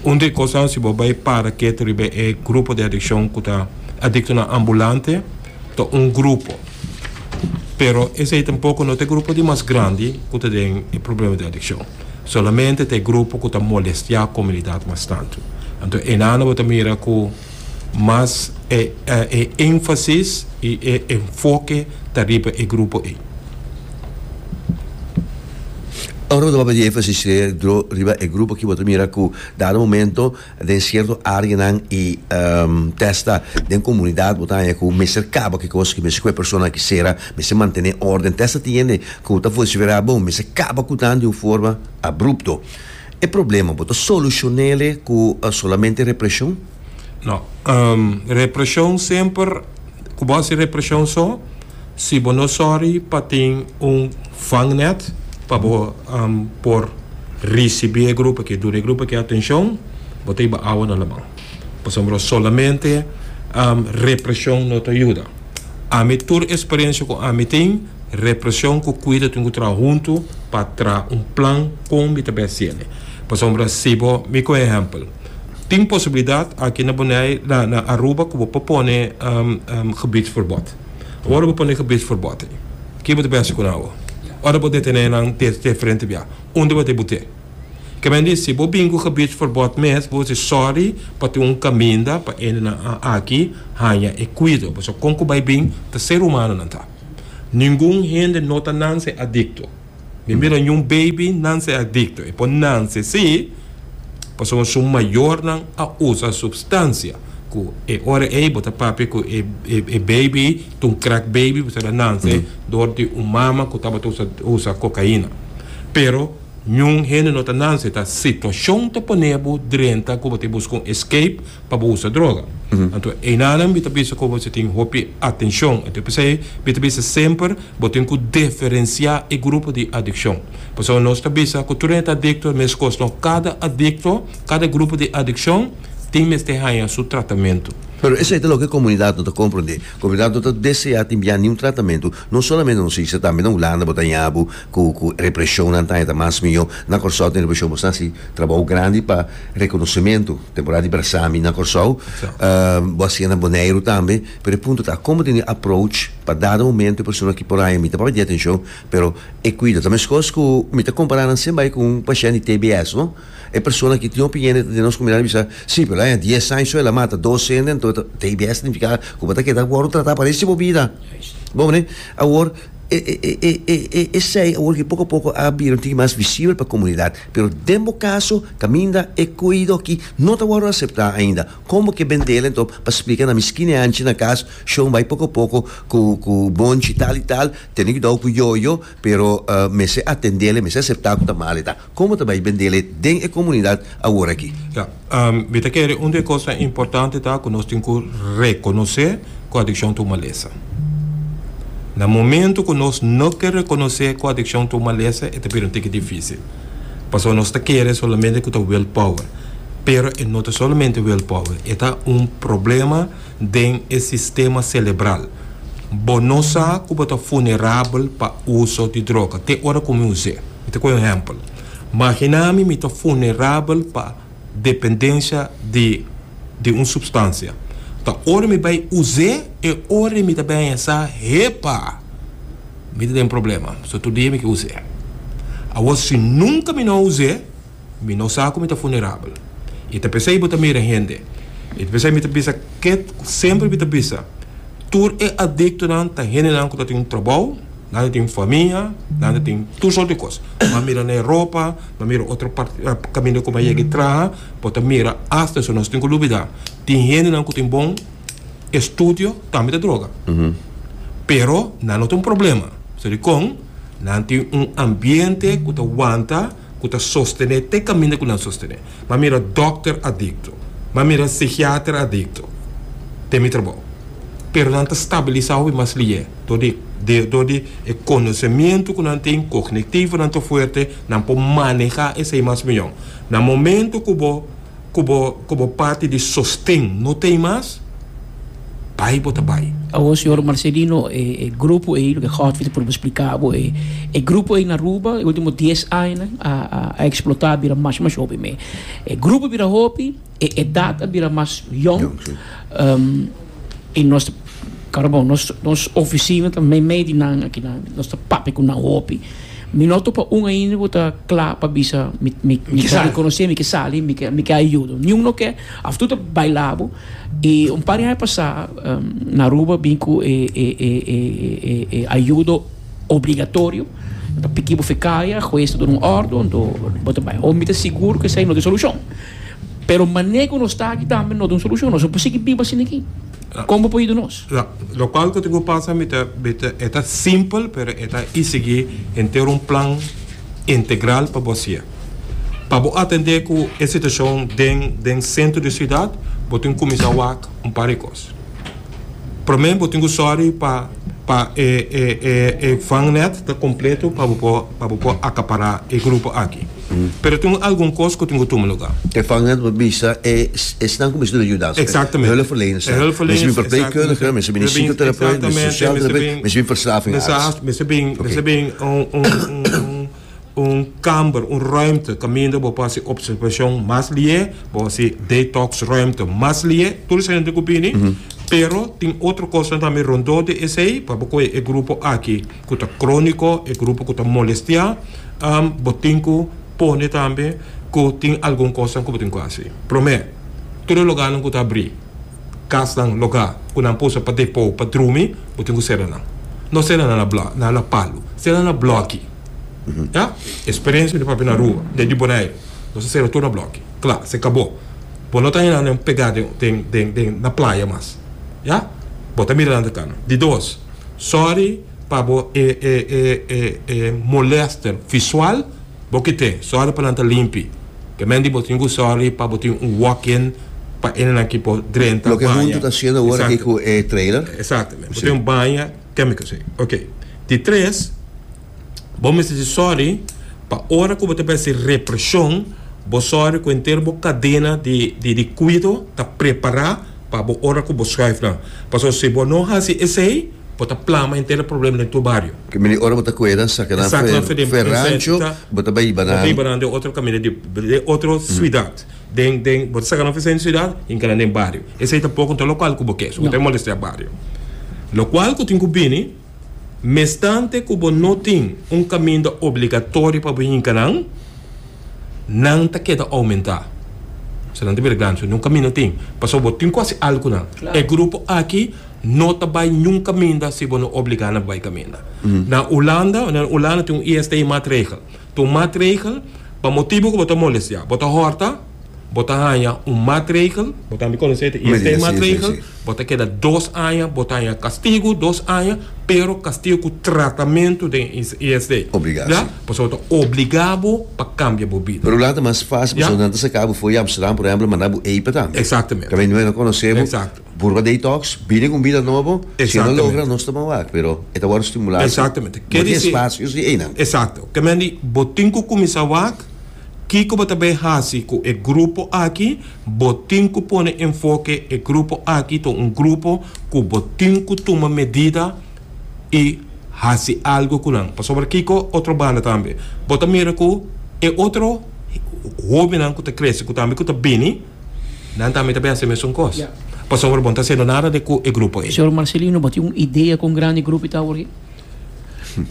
Un di e kosnan si bo bai para kiet riba e grupo di adikshon ku ta adiktonan ambulante ta un grupo pero esei tampoko no ta e grupo di mas grandi ku ta den e problema di adikshon solamente ta e grupo ku ta molestiá komunidat mas tantu anto enan bo ta mira ku. mas e e énfasis i e enfoke ta riba e grupo ei. Ora bo ta papia di énfasis riba e grupo aki bo ta mira ku dado momento den sierto áreanan i testa den komunidat bo ta haña ku mester kaba ke kos ki mester ku e persona aki sera, mester mantené órden testa tiende ku ta vociferá bon mester kaba ku nan di un forma abrupto. E problema bo ta solushon'e ku solamente represhon? No. Represhon semper ku bo hasi represhon so, si bo no sòri pa tin un vangnèt pa bo por risibí e grupo akí, duna e grupo akí atenshon, bo ta hiba awa na laman. Pasobra solamente represion no ta yuda. Ami tur experiencia cu ami tin, represion cu cuida tin cu traha hunto pa traha un plan con mi ta bes ciende. Pasobra si bo, mi cu ehempel, tin posibilidad aki na Boney, na na Aruba cu bo por pone gebiedsverbod. Ora bo pone gebiedsverbod, ki bo ta bes haci cu nan awo? Ora bo detene nan te frente bia, unda bo ta e bute? Kebay di si bo bin ku gebid forbod mes bo si sorry pa tin un kaminda pa endenan a aki haña e kuido pasobra kon ku bai bin ta ser humano nan ta ningun hende no ta nanse adikto mi mira niun baby nanse adikto e por nanse si pasobra su mayornan a usa supstansia ku e ora ey bo ta papia ku e baby ta un crack baby pasobra a nanse dor di un mama ku tabata usa kokaina pero. Niun hende no ta nanse ta situacion ta pone bo drenta cu bo ta busca un escape pa bo usa droga. Anto einanan mi ta bisa cu bo ta tin hopi atencion, anto p'esey mi ta bisa semper bo tin cu deferencia e grupo di adiccion. Pasobra nos ta bisa cu tur hende ta adicto e mes cos no, cada adicto, cada grupo di adiccion tin mester haya su tratamento. Pero esey ta loke e comunidad no ta comprende. Comunidad no ta desea tin bia niun tratamento, no solamente nos isla tambe na Hulanda bo ta haya bo Ku ku represhonnan taña ta mas mihó. Na Kòrsou tin represhon bo sa si trabou grandi pa rekonosementu temporada di Brasami na Kòrsou. Bo a siña na Boneiru tambe. Pero e punto ta kon bo tin e approach pa dado momento e persona ki por haña mi ta papia di atenshon pero e kuida. Ta meskos ku mi ta kompará nan siempre ku un pashènt di TBS no. E persona ki tin opinion den nos komunidat a bisa si pero el a haña dies aña so el a mata dos hende ento TBS signifiká ku bo ta keda wòrdu tratá parese bo bida. Bo hopi ne? Awor. Esei awor ke poko poko a bira un tiki mas visibel pa komunidat, pero den bo kaso kaminda e koeido aki no ta wòrdu aseptá ainda, kon bo ke bendel enton pa splika na mi skini anchi na kas shon bai poko poko ku ku bonchi tal i tal tene kuidou ku yoyo pero mester atendel e mester aseptá ku ta mal e ta. Como ta bay bendele den e comunidad awor aki? Ya. Mi ta kere un di e cosnan importante ta cu nos tin cu reconoce cu adiccion ta un malesa. Na momento cu nos no ke reconoce cu adiccion ta un malesa e ta bira un tiki dificil. Pasobra nos ta kere solamente cu ta will power. Pero e no ta solamente will power. E ta un problema den e sistema celebral. Bo no sa cu bo ta vulnerabel pa uso di droga te ora cu mi us'e. Mi ta cu un ehempel. Magina mi mi ta funerabel pa dependencia di di un substancia. Ta ora mi bay us'e e ora mi ta bensá, Hepa! Mi ta den problema, so tur dia mi ke us'e. Awor si nunca mi no us'e. Mi no sa ku mi ta funerabel. I ta p'esei bo ta mira hende. I ta p'esei mi ta bisa ke ku semper mi ta bisa, tur e adiktonan ta hendenan ku ta tin un trabou, nan ta tin famia, nan ta tin tur sort di kos. Bo a mira na e ropa, bo a mira otro parti, kaminda ku bo a yega e traha, bo ta mira asta eso. Nos tin ku lubidá, tin hendenan ku tin bon estudio tambe ta droga. Pero nan no ta un problema, pasobra dikon? Nan tin un ambiente ku ta wanta. ku ta sostené te kaminda ku nan sostené. M'a mira dòkter adikto. M'a mira psikiater adikto den mi trabou. Pero nan ta stabilisá hopi mas lié dor di dor di e konosementu ku nan tin, kognitivo nan ta fuerte, nan por manehá esei mas mihó. Na momentu ku bo ku bo ku bo parti di sosten no ta ei mas, bai bo ta bai. Awor señor Marcelino e grupo ey loke Godfrey ta por bo splica bo e e grupo ey na Aruba e ultimo dies añanan a a a explota a bira mas mas hopi me e grupo bira hopi e edad a bira mas yong Jong si. y nos ta cara bon nos nos oficina ta meimei di nan akinan nos ta papia cu nan hopi mi no a topa un ainda cu ta cla pa bisa mi mi mi Mi ke ta sali. reconoce mi ke sali mi ke mi ke a yudo niun no ke af tu ta bai labo. E un par di aña pasá na Aruba bin ku e e ayudo obligatorio e ta piki bo fi kaya hues ta duna un ordo anto bo ta bai o mi ta sigur ku esei no ta e solushon pero mane ku nos ta aki tambe no ta un solushon nos no por sigui biba asin aki kon bo por yuda nos. Lokual ku tin ku pasa mi ta mi ta e ta simpel pero e ta e sigui henter un plan integral pa bo hasié. Pa bo atendé ku e situashon den den sentro di siudat bo tin ku kuminsá wak un par di kos. Promé bo tin ku sòri pa pa e e e e vangnèt ta kompleto pa bo por pa bo por akapará e grupo aki. Pero tin un algun kos ku tin ku tuma lugá. E vangnèt bo bisa e esnan ku mester duna yuda aspe. Exactamente. Hulpverleners, E hulpverleners, mester bin verpleegkundige, mester bin di exactamente. psychoterapeut, mester Exactamente, sosiaal mester terapeut, bin- mester bin verslavingarbeids. Mester haas, mester bin un un un un kamber, un ruimte kaminda bo por hasi observashon mas lié, bo hasi detoks ruimte mas lié, tur esei hende ku bini, pero tin otro kosnan tambe rondó di esei, pa bo kohe e grupo aki ku ta króniko, e grupo ku ta molestiá, bo tin ku pone tambe ku tin algun kosnan ku bo tin ku hasi. Promé, tur e logánan ku ta abrí. Kasnan logá ku nan por usa pa depó pa drumi, bo tin ku sera nan. No sera nan na na palu. Sera nan na blòki. Ya. Eksperensia di papia na Aruba, den di Boneiru, nos a sera tur na blòki. Kla, se kabó. Bo no ta henda nan pegá den, den, den, den na playa mas. Ya. Bo ta mira nan ta kana. Di dos, sòri pa bo e, e, e, e, e molèster visual, bo ke ten. Sòri pa nan ta limpi. Kemen di bo tin ku sorry pa bo tin un walk in pa enenan ki por drenta, Loke baña. huntu ta siendo awor aki ku e trailer. Exactamente. Bo tin baña chemicals ei. Ok. Di tres, bo mester di sorry pa ora ku bo ta bersi represhon, bo sorry ku entero bo kadena di di di kuido ta prepará pa bo ora ku bo schuif nan. Pasobra si bo no hasi esei, Bo ta plama enter e problema den tur bario. Ke mene ora bo ta kue nan saka nan fu e rancho bo ta bai hiba nan. Bo ta hiba nan den otro kaminda di den otro suidat den den bo ta saka nan fu esei suidat hinka nan den bario esei tampoco no ta local ku bo ke su bo ta e molestea bario lo cual ku tin ku bini mestante ku bo no tin un kaminda obligatorio pa bo hinka nan nan ta keda oumenta paske nan ta bira grandi so ni un kaminda tin pasobra bo tin ku hasi algu ku nan e grupo aki. No ta bai niun kaminda si bo no obligá nan pa bai kaminda. Na Hulanda, na Hulanda tin un ISTI matregel. Ta un matregel pa motibu ku bo ta molestiá. Bo ta hòrta, bo ta haña un matregel, bo tambe konosé ta ISTI Medida, si, si, matregel, si. bo ta keda dos aña, bo ta haña kastigu dos aña, pero kastigu ku tratamentu den ISTI. Obligá, Ya? si. Pasobra bo ta obligá bo pa kambia bo bida. Pero Hulanda ta mas fásil Ya. pasobra nan ta saká bo for di Amsterdam, por ehèmpel, a mandá bo eipè tambe. Eksaktemente. Tambe no e no konosé bo. Eksakto. Purba de Detox bini cu un bida nobo, si e no logra nos ta bon wak, pero e ta wòrdu stimulá si bo tin espacio si einan. Exacto. Ke men di, bo tin cu cuminsá wak, kico bo ta bay haci cu e grupo aki, bo tin cu pone enfoke, e grupo aki ta un grupo cu bo tin cu tuma medida y haci algo cu nan. Pasobra kico otro banda tambe, bo ta mira cu e otro hobennan cu ta crece, cu tambe cu ta bini, Nan tambe ta behasé mesun kos. Pasobra bo no ta haciendo nada de cu e grupo ey. Señor Marcelino, bo tin un idea con grandi grupo y ta awor aki?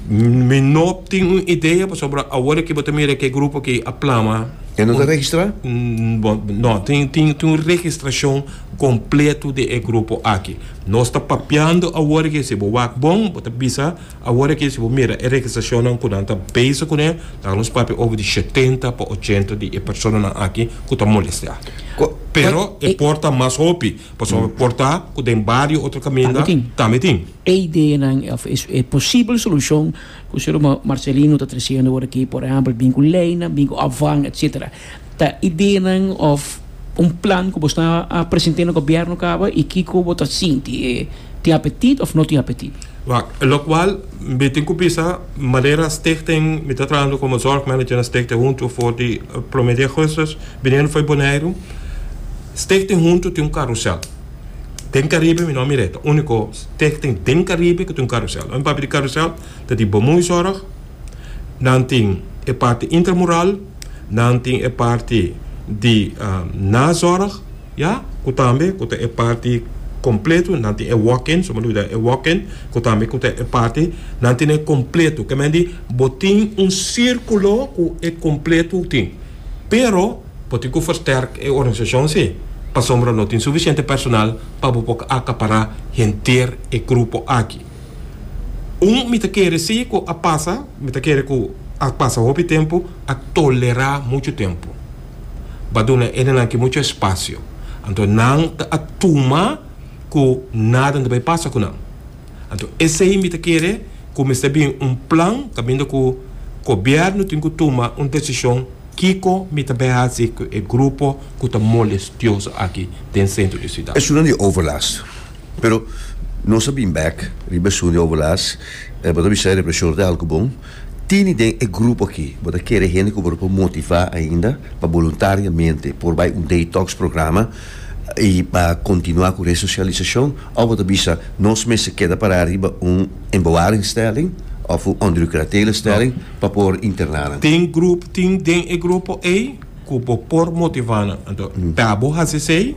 Mi no tin un idea, pasobra awor aki bo ta mira cu e grupo aki a plama. E no ta registra? Bo, no, tin, tin, tin un registracion completo di e grupo aki. Nos ta papiando awor aki. Si bo wak bon, bo ta bisa. Awor aki si bo mira e registrashonnan ku nan ta bezig kuné, ta nos papia over di shetenta pa ochenta di e personanan aki ku ta molesteá. Pero e por ta mas hopi, pasobra por ta ku den bario otro kaminda tambe tin. E ideanan òf e posibel solushon ku Señor Marcelino ta tresiendo awor aki, por ehèmpel, bin ku leinan, bin ku afan, etsetera. ta ideanan of un plan ku bo sta a present'é na gobièrnu kaba i kiko bo ta sinti e tin apetit of no tin apetit? Wak, lokual mi tin ku bisa Malera Stichting, mi ta trahando komo zorg manager na Stichting Huntu for di promé di Augustus biniendo for Boneiru. Stichting Huntu tin un karusèl den Karibe, mi no a mir'é, ta úniko stichting den Karibe ku tin un karusèl. Lo mi papia di karusèl ta di Bomoezorg, nan tin e parti intramural, Nan tin e parti di nazorg, ya, ku tambe ku ta e parti kompleto. Nan tin e walk-in, su maluda e walk-in, ku tambe ku ta e parti. Nan tin e kompleto, ke men di bo tin un sirkulo ku e kompleto tin. Pero bo tin ku fersterk e organisashon si, pasobra no tin sufisiente personal pa bo por akapará henter e grupo aki. Un mi ta kere si ku a pasa, mi ta kere ku a pasa hopi tempu, a tolerá muchu tempu. Bo a duna e nenan ki muchu espasio. Anto nan ta a tuma ku nada no bai pasa ku nan. Anto esei mi ta kere ku mester bin un plan kaminda ku gobièrnu tin ku tuma un desishon kiko mi ta bai hasi ku e grupo ku ta molestioso aki den sentro di siudat. Esun nan di overlast. Pero nos a bin bek riba e Sunday Obulas e bo ta bisa e represor di algu bon tini den e grupo aki. Bo ta kere hende ku bo ta por motivá ainda pa boluntariamente por bai un detox programa i pa kontinuá ku resosialisashon òf bo ta bisa nos mester keda pará riba un en bewaar instelling òf un onderukratele instelling pa por interná nan? Tin grupo tin den e grupo ei? ku bo por motivá nan. Anto, pa bo hasi esei,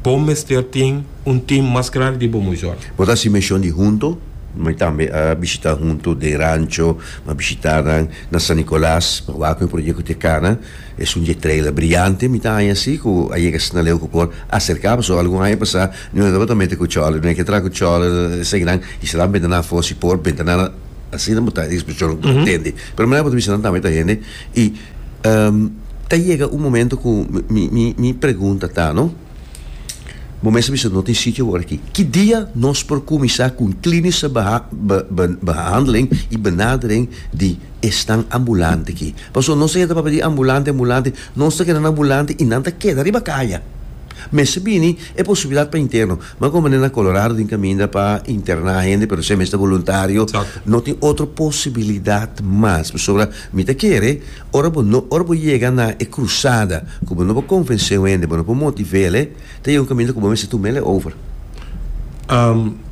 bo mester tin un tim mas grandi di bo mayor. Bo ta hasi mishon di hunto? Mi tambe a bishitá hunto den rancho. Mi a bishitá nan na San Nicolas. Mi a wak ku e proyekto di e kana. Es un dje trailer briante mi ta haña así ku a yega asina leu ku por aserká. Pasobra algun haña pasá mi mester tabata mete ku chòler. Mi a ke traha ku chòler eseinan i sera nan bentanan afó. Si por bentanan asina bo ta e disposishon ku bo ta tende. Pero manera ku bo ta bisa nan tambe ta hende. I ta yega un momento ku mi pregunta ta, no? Bo mes a bisa no tin sitio wòrda aki. Ki dia nos por kuminsá ku un kliniske behandeling i benadering di esnan ambulante aki? Pasobra nos ta yenta papia di ambulante, ambulante, nos ta keda nan ambulante i nan ta keda riba kaya. Mester bini e posibilidat pa interno. M'a komo na Colorado tin kaminda pa interná hende pero esei mester boluntario, no tin otro posibilidat mas pasobra. Mi ta kere, ora bo no, ora bo yega na e krusada ku bo no por konvensé un hende, bo no por motivéle, ta yega un kaminda ku bo mester tum'ele over.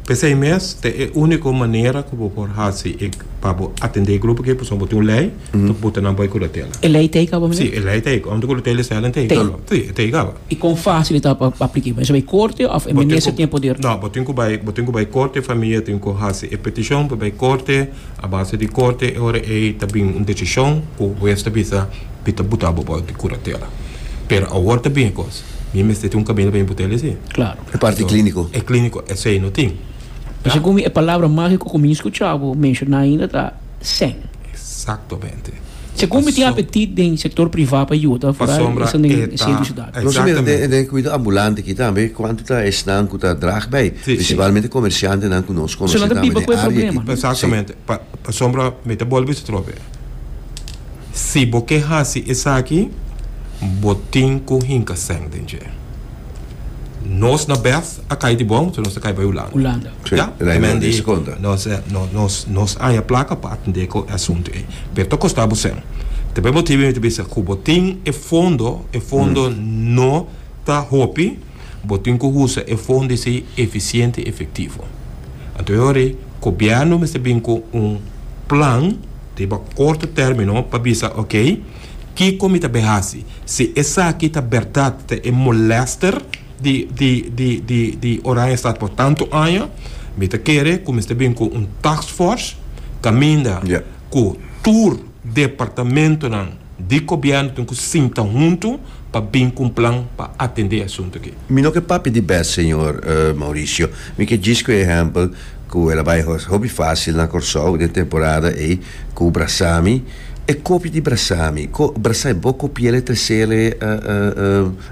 P'esei mes, ta e úniko manera ku bo por hasi pa bo atendé e grupo akí, pasobra bo tin un lei ku ta puta nan bai kuratela. E lei teiga bo, Miguel? Sí, e lei teiga. Òrdu kuratela i sèl, nan teiga bo. Sí, e teiga bo. I kon fásil i ta pa aplik'é? Mester bai korte òf e minister tin e poder? No, bo tin ku bai, bo tin ku bai korte, e famia tin ku hasi e petishon pa bai korte. A base di korte e ora ei ta bini un desishon ku hues ta bisa mi ta buta bo bou di kuratela. Pero awor ta bini kos, mi mester tin un kaminda pa mi buta el esei. Klaro. E parti klíniko. E klíniko esei no tin. Ta segun mi e palabra mágiko ku mi skucha bo menshoná ainda ta sen. Eksaktomente. Segun mi tin apetit den sector priva pa yuda vooral esun den e centro ciudad. Nos mira den den cuido ambulante aki tambe cuanto ta esnan cu ta draag bay principalmente comerciantenan cu nos conoce tambe den area aki. Esun nan ta biba cu e problema. Exactamente pa pasobra mi ta bolbe bisa trobe si bo ke haci esaki bo tin cu hinca seng den dje. Nos na bef a cay di bon, so nos ta cay bay Hulanda. Hulanda. Sí, Ya? el a Emen di des conta. nos, eh, no- nos, nos aña placa pa atende cu e asunto ey. Pero ta costa bo sen. Ta por e motibo mi ta bisa cu bo tin e fondo, e fondo no ta hopi, bo tin cu usa e fondo esey eficiente y efectivo. Anto e ora ey, Gobierno mester bin cu un plan riba corto termino pa bisa, ok, kico mi ta bay haci? Si esaki ta berdad ta e molester, di di di di di Oranjestad por tantu aña mi ta kere ku mester bin ku un taskfors kaminda Ja. ku tur departamentonan di gobièrnu tin ku sinta huntu pa bin ku un plan pa atendé e asuntu aki. Mi no ke papia di bes señor Mauricio. Mi ke djis ku e ehèmpel ku el a bai hopi fásil na Kòrsou den temporada ei ku brasami. E kopia di brasami, ko brasa e bo kopiel e tresel e?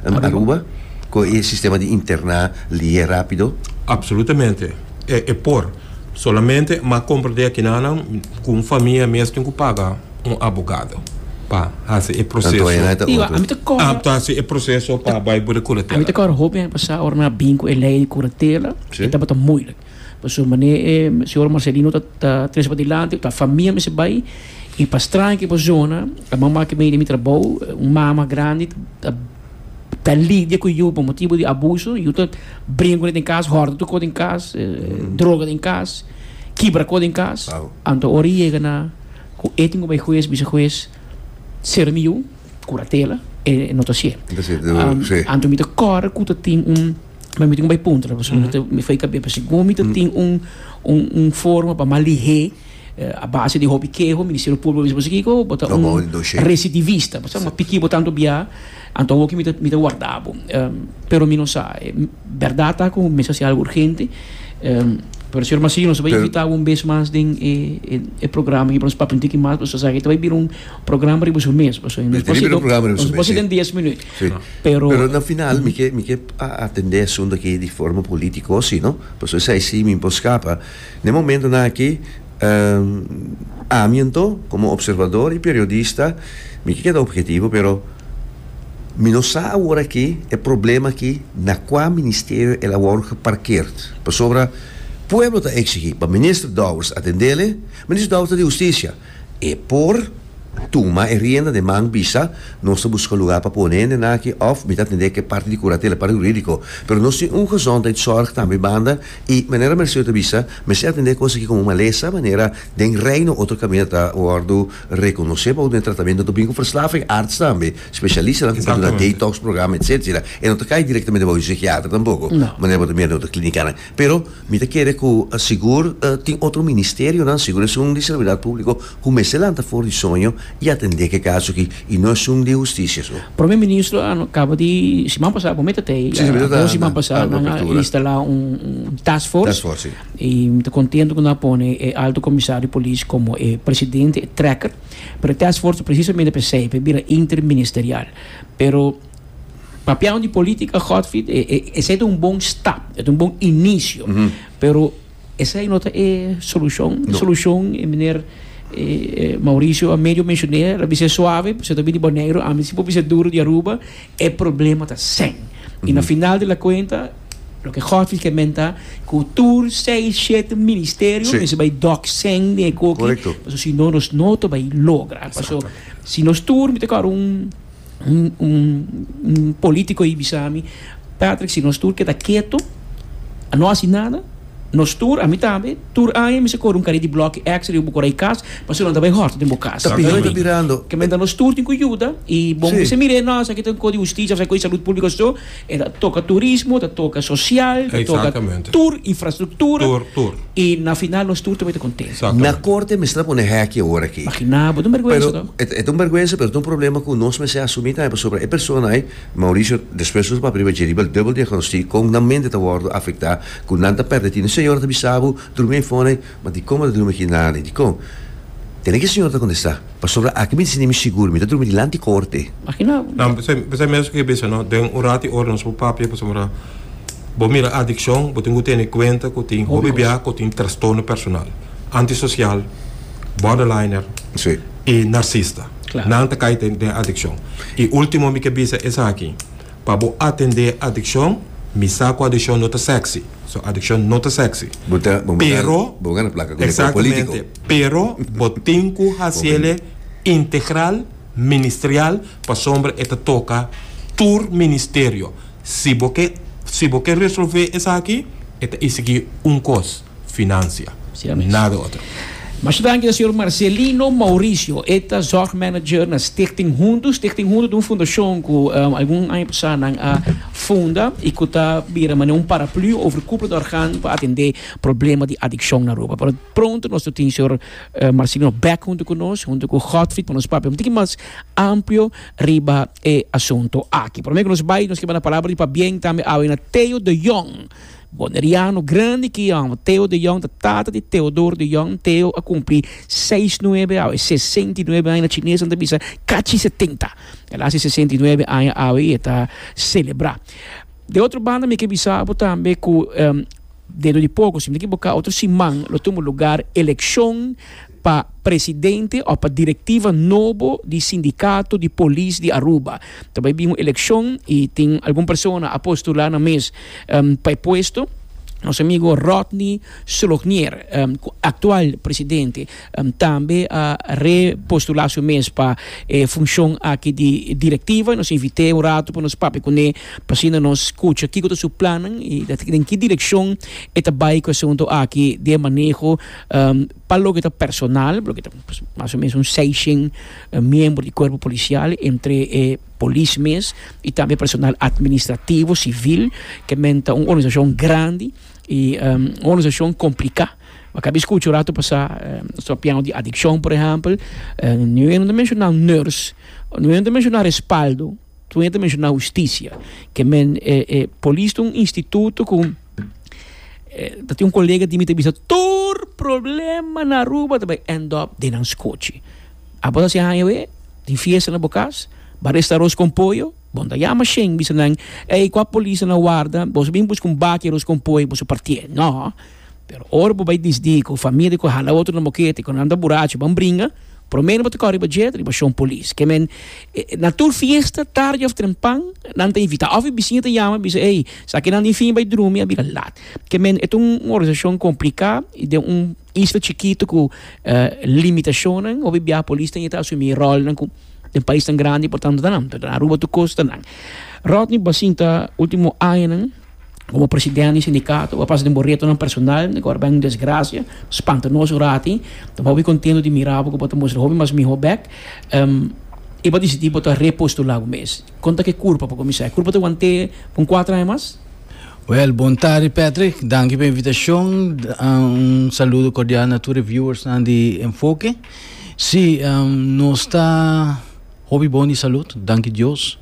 En Aruba, cu e sistema di interna lie rapido? Absolutamente. E por. Solamente m'a comprende akinanan cu un famia mes tin cu paga un abogado pa haci e proceso. Pasobra manera e señor Marcelino ta tres pa dilanti, ta famia mester bai, i pa straña ki bo zona, a mama ki medio di mi trabou, un mama grandi ta ta lidia ku yu pa motibu di abuso, yu ta bringa ku nan den kas, hòrda tukó den kas, droga den kas, kibra ko den kas, anto ora i yega na ku e tin ku bai hues bisa hues sera mi yu, kuratela, e no ta hasié. Anto mi ta kòrda ku ta tin un. Pero mi tin un bai puntra, paso mm -hmm. mi fai kabia, paso como mi mm tin un, un, un forma pa malihé eh, a base de hobby quejo, Ministerio Público, mi paso kiko, bota no, un recidivista, paso ma piki botando bia, anto woki mi ta, mi ta guardabo. Um, pero mi no sa, eh, verdad ta con mesa si algo urgente, um, pero señor Masini nos va a invitar un vez más den eh, eh, eh programa, que nos papinti que más, pues, o sea, que te va a vivir un programa riba su mes, pues, nos va a vivir un programa riba su mes, nos va a 10 minutos. Sí. Pero, Pero na final, mi ke, mi ke a atendé asunto aki di forma político osi, no? Paso esai sí mi por scapa. Ne momentonan aki, ehm, ami anto, como observador y periodista, mi ke keda objetivo, pero mi no sa awor aki e problema aki na cua ministerio el a wou geparkeerd. Pasobra pueblo ta exigi pa Minister Dowers atendele, Minister Dowers ta di Husticia. E por tuma e rienda den man bisa nos ta buska lugá pa pone hende nan aki òf mi ta atendé ku e parti di kuratela, e parti hurídiko. Pero nos tin un gezondheidszorg tambe banda i manera Merceau ta bisa mester atendé kos aki komo un malesa manera den Reino otro kaminda ta wòrdu rekonosé pa obtené tratamentu. Nos ta bini ku verslaving arts tambe, spesialisnan ku por duna detox programa etcétera. E no ta kai direktamente bou di un sikiater tampoko manera bo ta mira den otro klinikánan. Pero mi ta kere ku sigur tin otro ministerionan, sigur es un di servidad públiko ku mester lanta for di soño i atendé ke kaso aki i no es un di hustisia su. Prome ministro kaba di siman pasá ku mi ta tei, dos siman pasá nan a instalá un task force i mi ta kontentu ku nan a pone e alto komisario di polis komo e presidente, e trekker, pero e task force presisamente p'esei p'e bira interministerial pero. Papiao di política, Godfried, e, e, ese es un bon stap, es un bon inicio. Mm -hmm. Pero ese no te e solución. No. Solución, e meneer eh, eh Mauricio a medio mencioné, la bise suave, pues te bini Bonegro, a mí si bise duro di Aruba, e problema ta sen. Mm -hmm. Y na final de la cuenta, lo que Godfried que menta, cultuur, seis, siete ministerio, sí. bij doc sen de coque, Correcto. Paso, si no, nos no te bij logra. Paso, si nos tour, mi te un Un, un, un político ahí bisami, Patrick, si nos tur keda keto, a no hasi nada, nos tur, a mi tambe, tur aña mi se kore un kari di blokkie X riba bo kore e kas, pasobra si no ta bay hòrta den bo kas. Ta pihando, ta mirando. Kementa nos tur tin ku yuda, i bon mi si mira e nòs aki ta un ko di hustisha, ta un ko di salud públiko, so. E ta toka turismo, ta toka sosial, ta toka tur infrastruktura i na final nos tur ta wete kontentu. Na korte mester a pone hèkki ora aki. Imaginá bo, ta un bèrgwensa tò. E ta un bèrgwensa pero ta un problema ku nos mester asumí tambe pasobra e persona ei, Mauricio despues nos a papia riba dje riba el dubel diagnostic kon nan mente ta wòrdu afektá ku nan ta pèrdè tin. Un señor a ta bisa bo drumi ei fònde, ma dikon bo ta drumi aki nada ni dikon? Tene ki e señor ta kontestá. Pasobra aki mi di sindi mi sigur, mi ta drumi dilanti korte. Makina bo. P'esei mesun ku e bisa no, den un rat i ora nos por papia pasobra bo mira adikshon, bo tin ku tene kuenta ku tin hopi bia ku tin trastorno personal, antisosial, borderliner i narsista. Nan ta kai den adikshon. I ultimo mi ke bisa esaki. Pa bo atendé e adikshon, mi sa ku adikshon no ta sèksi. So, adikshon no ta sèksi. Bo ta, bo manda, Pero, bo gana plaka ku e lekwa polítiko. Exactamente. Pero bo tin ku Bo hasi el e bini. integral, ministrial, pasobra e ta toka tur ministerio. Si bo ke, si bo ke resolvé esaki, e ta i sigui un kos. Financia. Nada otro. Masha danki ta señor Marcelino Mauricio, e ta zorg manager na Stichting Huntu. Stichting Huntu ta un fundacion cu algun aña pasá nan a funda y cu ta bira manera un paraplu over cupla di organ pa atendé problema di adiccion na Aruba. Pero pronto nos ta tin señor Marcelino bek huntu cu nos, huntu cu Godfrid pa nos papia un tiki mas amplio riba e asunto aki. Prome cu nos bay nos ke banda palabra di pabien tambe awe na Theo de Jong. Boneriano grandi ki yòm, Teo de Jong, ta tata di Teodor de Jong. Teo a kumpli seis nuebe awe, sesenta i nuebe aña. Na chinesnan ta bisa kachi setenta. El a hasi sesenta i nuebe aña awe i e ta selebrá. De otro banda mi ke bisa bo tambe ku dentro di poko, si mi no ta kiboká otro siman, lo tumba lugar elekshon. pa presidente of pa directiva nobo di sindicato di polis di Aruba. Ta bay bin un eleccion y tin algun persona a postula nan mes pa e puesto. Nos amigo Rodney Solognier, cu actual presidente, tambe a repostula su mes pa e funcion aki di directiva y nos invite un rato pa nos papia cu ne pa asina nos scucha kico ta su plannan y den ki direccion e ta bay cu e asunto aki di e maneho Pa loke ta personal, loke ta mas o menos un seishen miembro di cuerpo policial, entre e polis mes y tambe personal administrativo, civil, ke men ta un organisacion grandi y un organisacion complica. Bo a bisa cu cu rato pasa nos ta papiando di adiccion, por ehempel. Nu ayuno ta menciona nurse, nu ayuno ta menciona respaldo. Tun e ta menshona hustisia, ke men e e polis ta un instituto ku e ta tin un kolega di mi ta bisa tur problema na Aruba ta bai end up den nan skochi. Abo ta hasi haña awe, tin fiesta na bo kas, bo a resta aros kon poyo, bo manda yama sheen bisa nan, ey kua polis ta na warda, boso bin buska un baki aros kon poyo boso partié. No! Pero ora bo bai disdi ku familia ku hala otro na bokete ku nan ta burachu ban bringa, promé bo ta kòrè riba dje riba shon polis. Ke men na tur fiesta tardi òf trempan nan ta invitá òf e bisiño ta yama bisa ey esaki nan tin fin bai drumi a bira lat. Ke men e ta un organisashon kompliká i den un isla chikitu ku limitashonnan hopi bia polis ta yeta asumí e ròlnan ku den paisnan grandi por tantu ta nan. Aruba tur kos ta nan. Rodney Bassin ta último añanan. Komo presidente di sindikato bo a pasa den bo retonan personal ku ora bai un desgrasia spanta nos ora aki ta hopi kontento di mira bo ku bo ta mustra hopi mas mihó bèk i bo disidí bo ta repostulá bo mes kon ta ke kurpa pa kuminsá e kurpa ta want'é pa un kuater aña mas? Wèl bon tardi Patrick danki pa e invitashon un saludo kordial na tur e viewers nan di Enfoke si nos ta. Hopi bon di salud, danki Dios.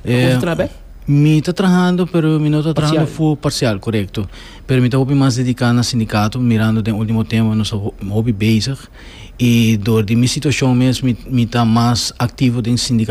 E Kon ta traha bek? Mi ta trahando pero mi no ta trahando Parcial. full parcial, korekto. Pero mi ta hopi mas dediká na sindikato mirando den último tempo nos ta ho- hopi bezig i dor di mi situashon mes mi mi ta mas aktivo den sindika.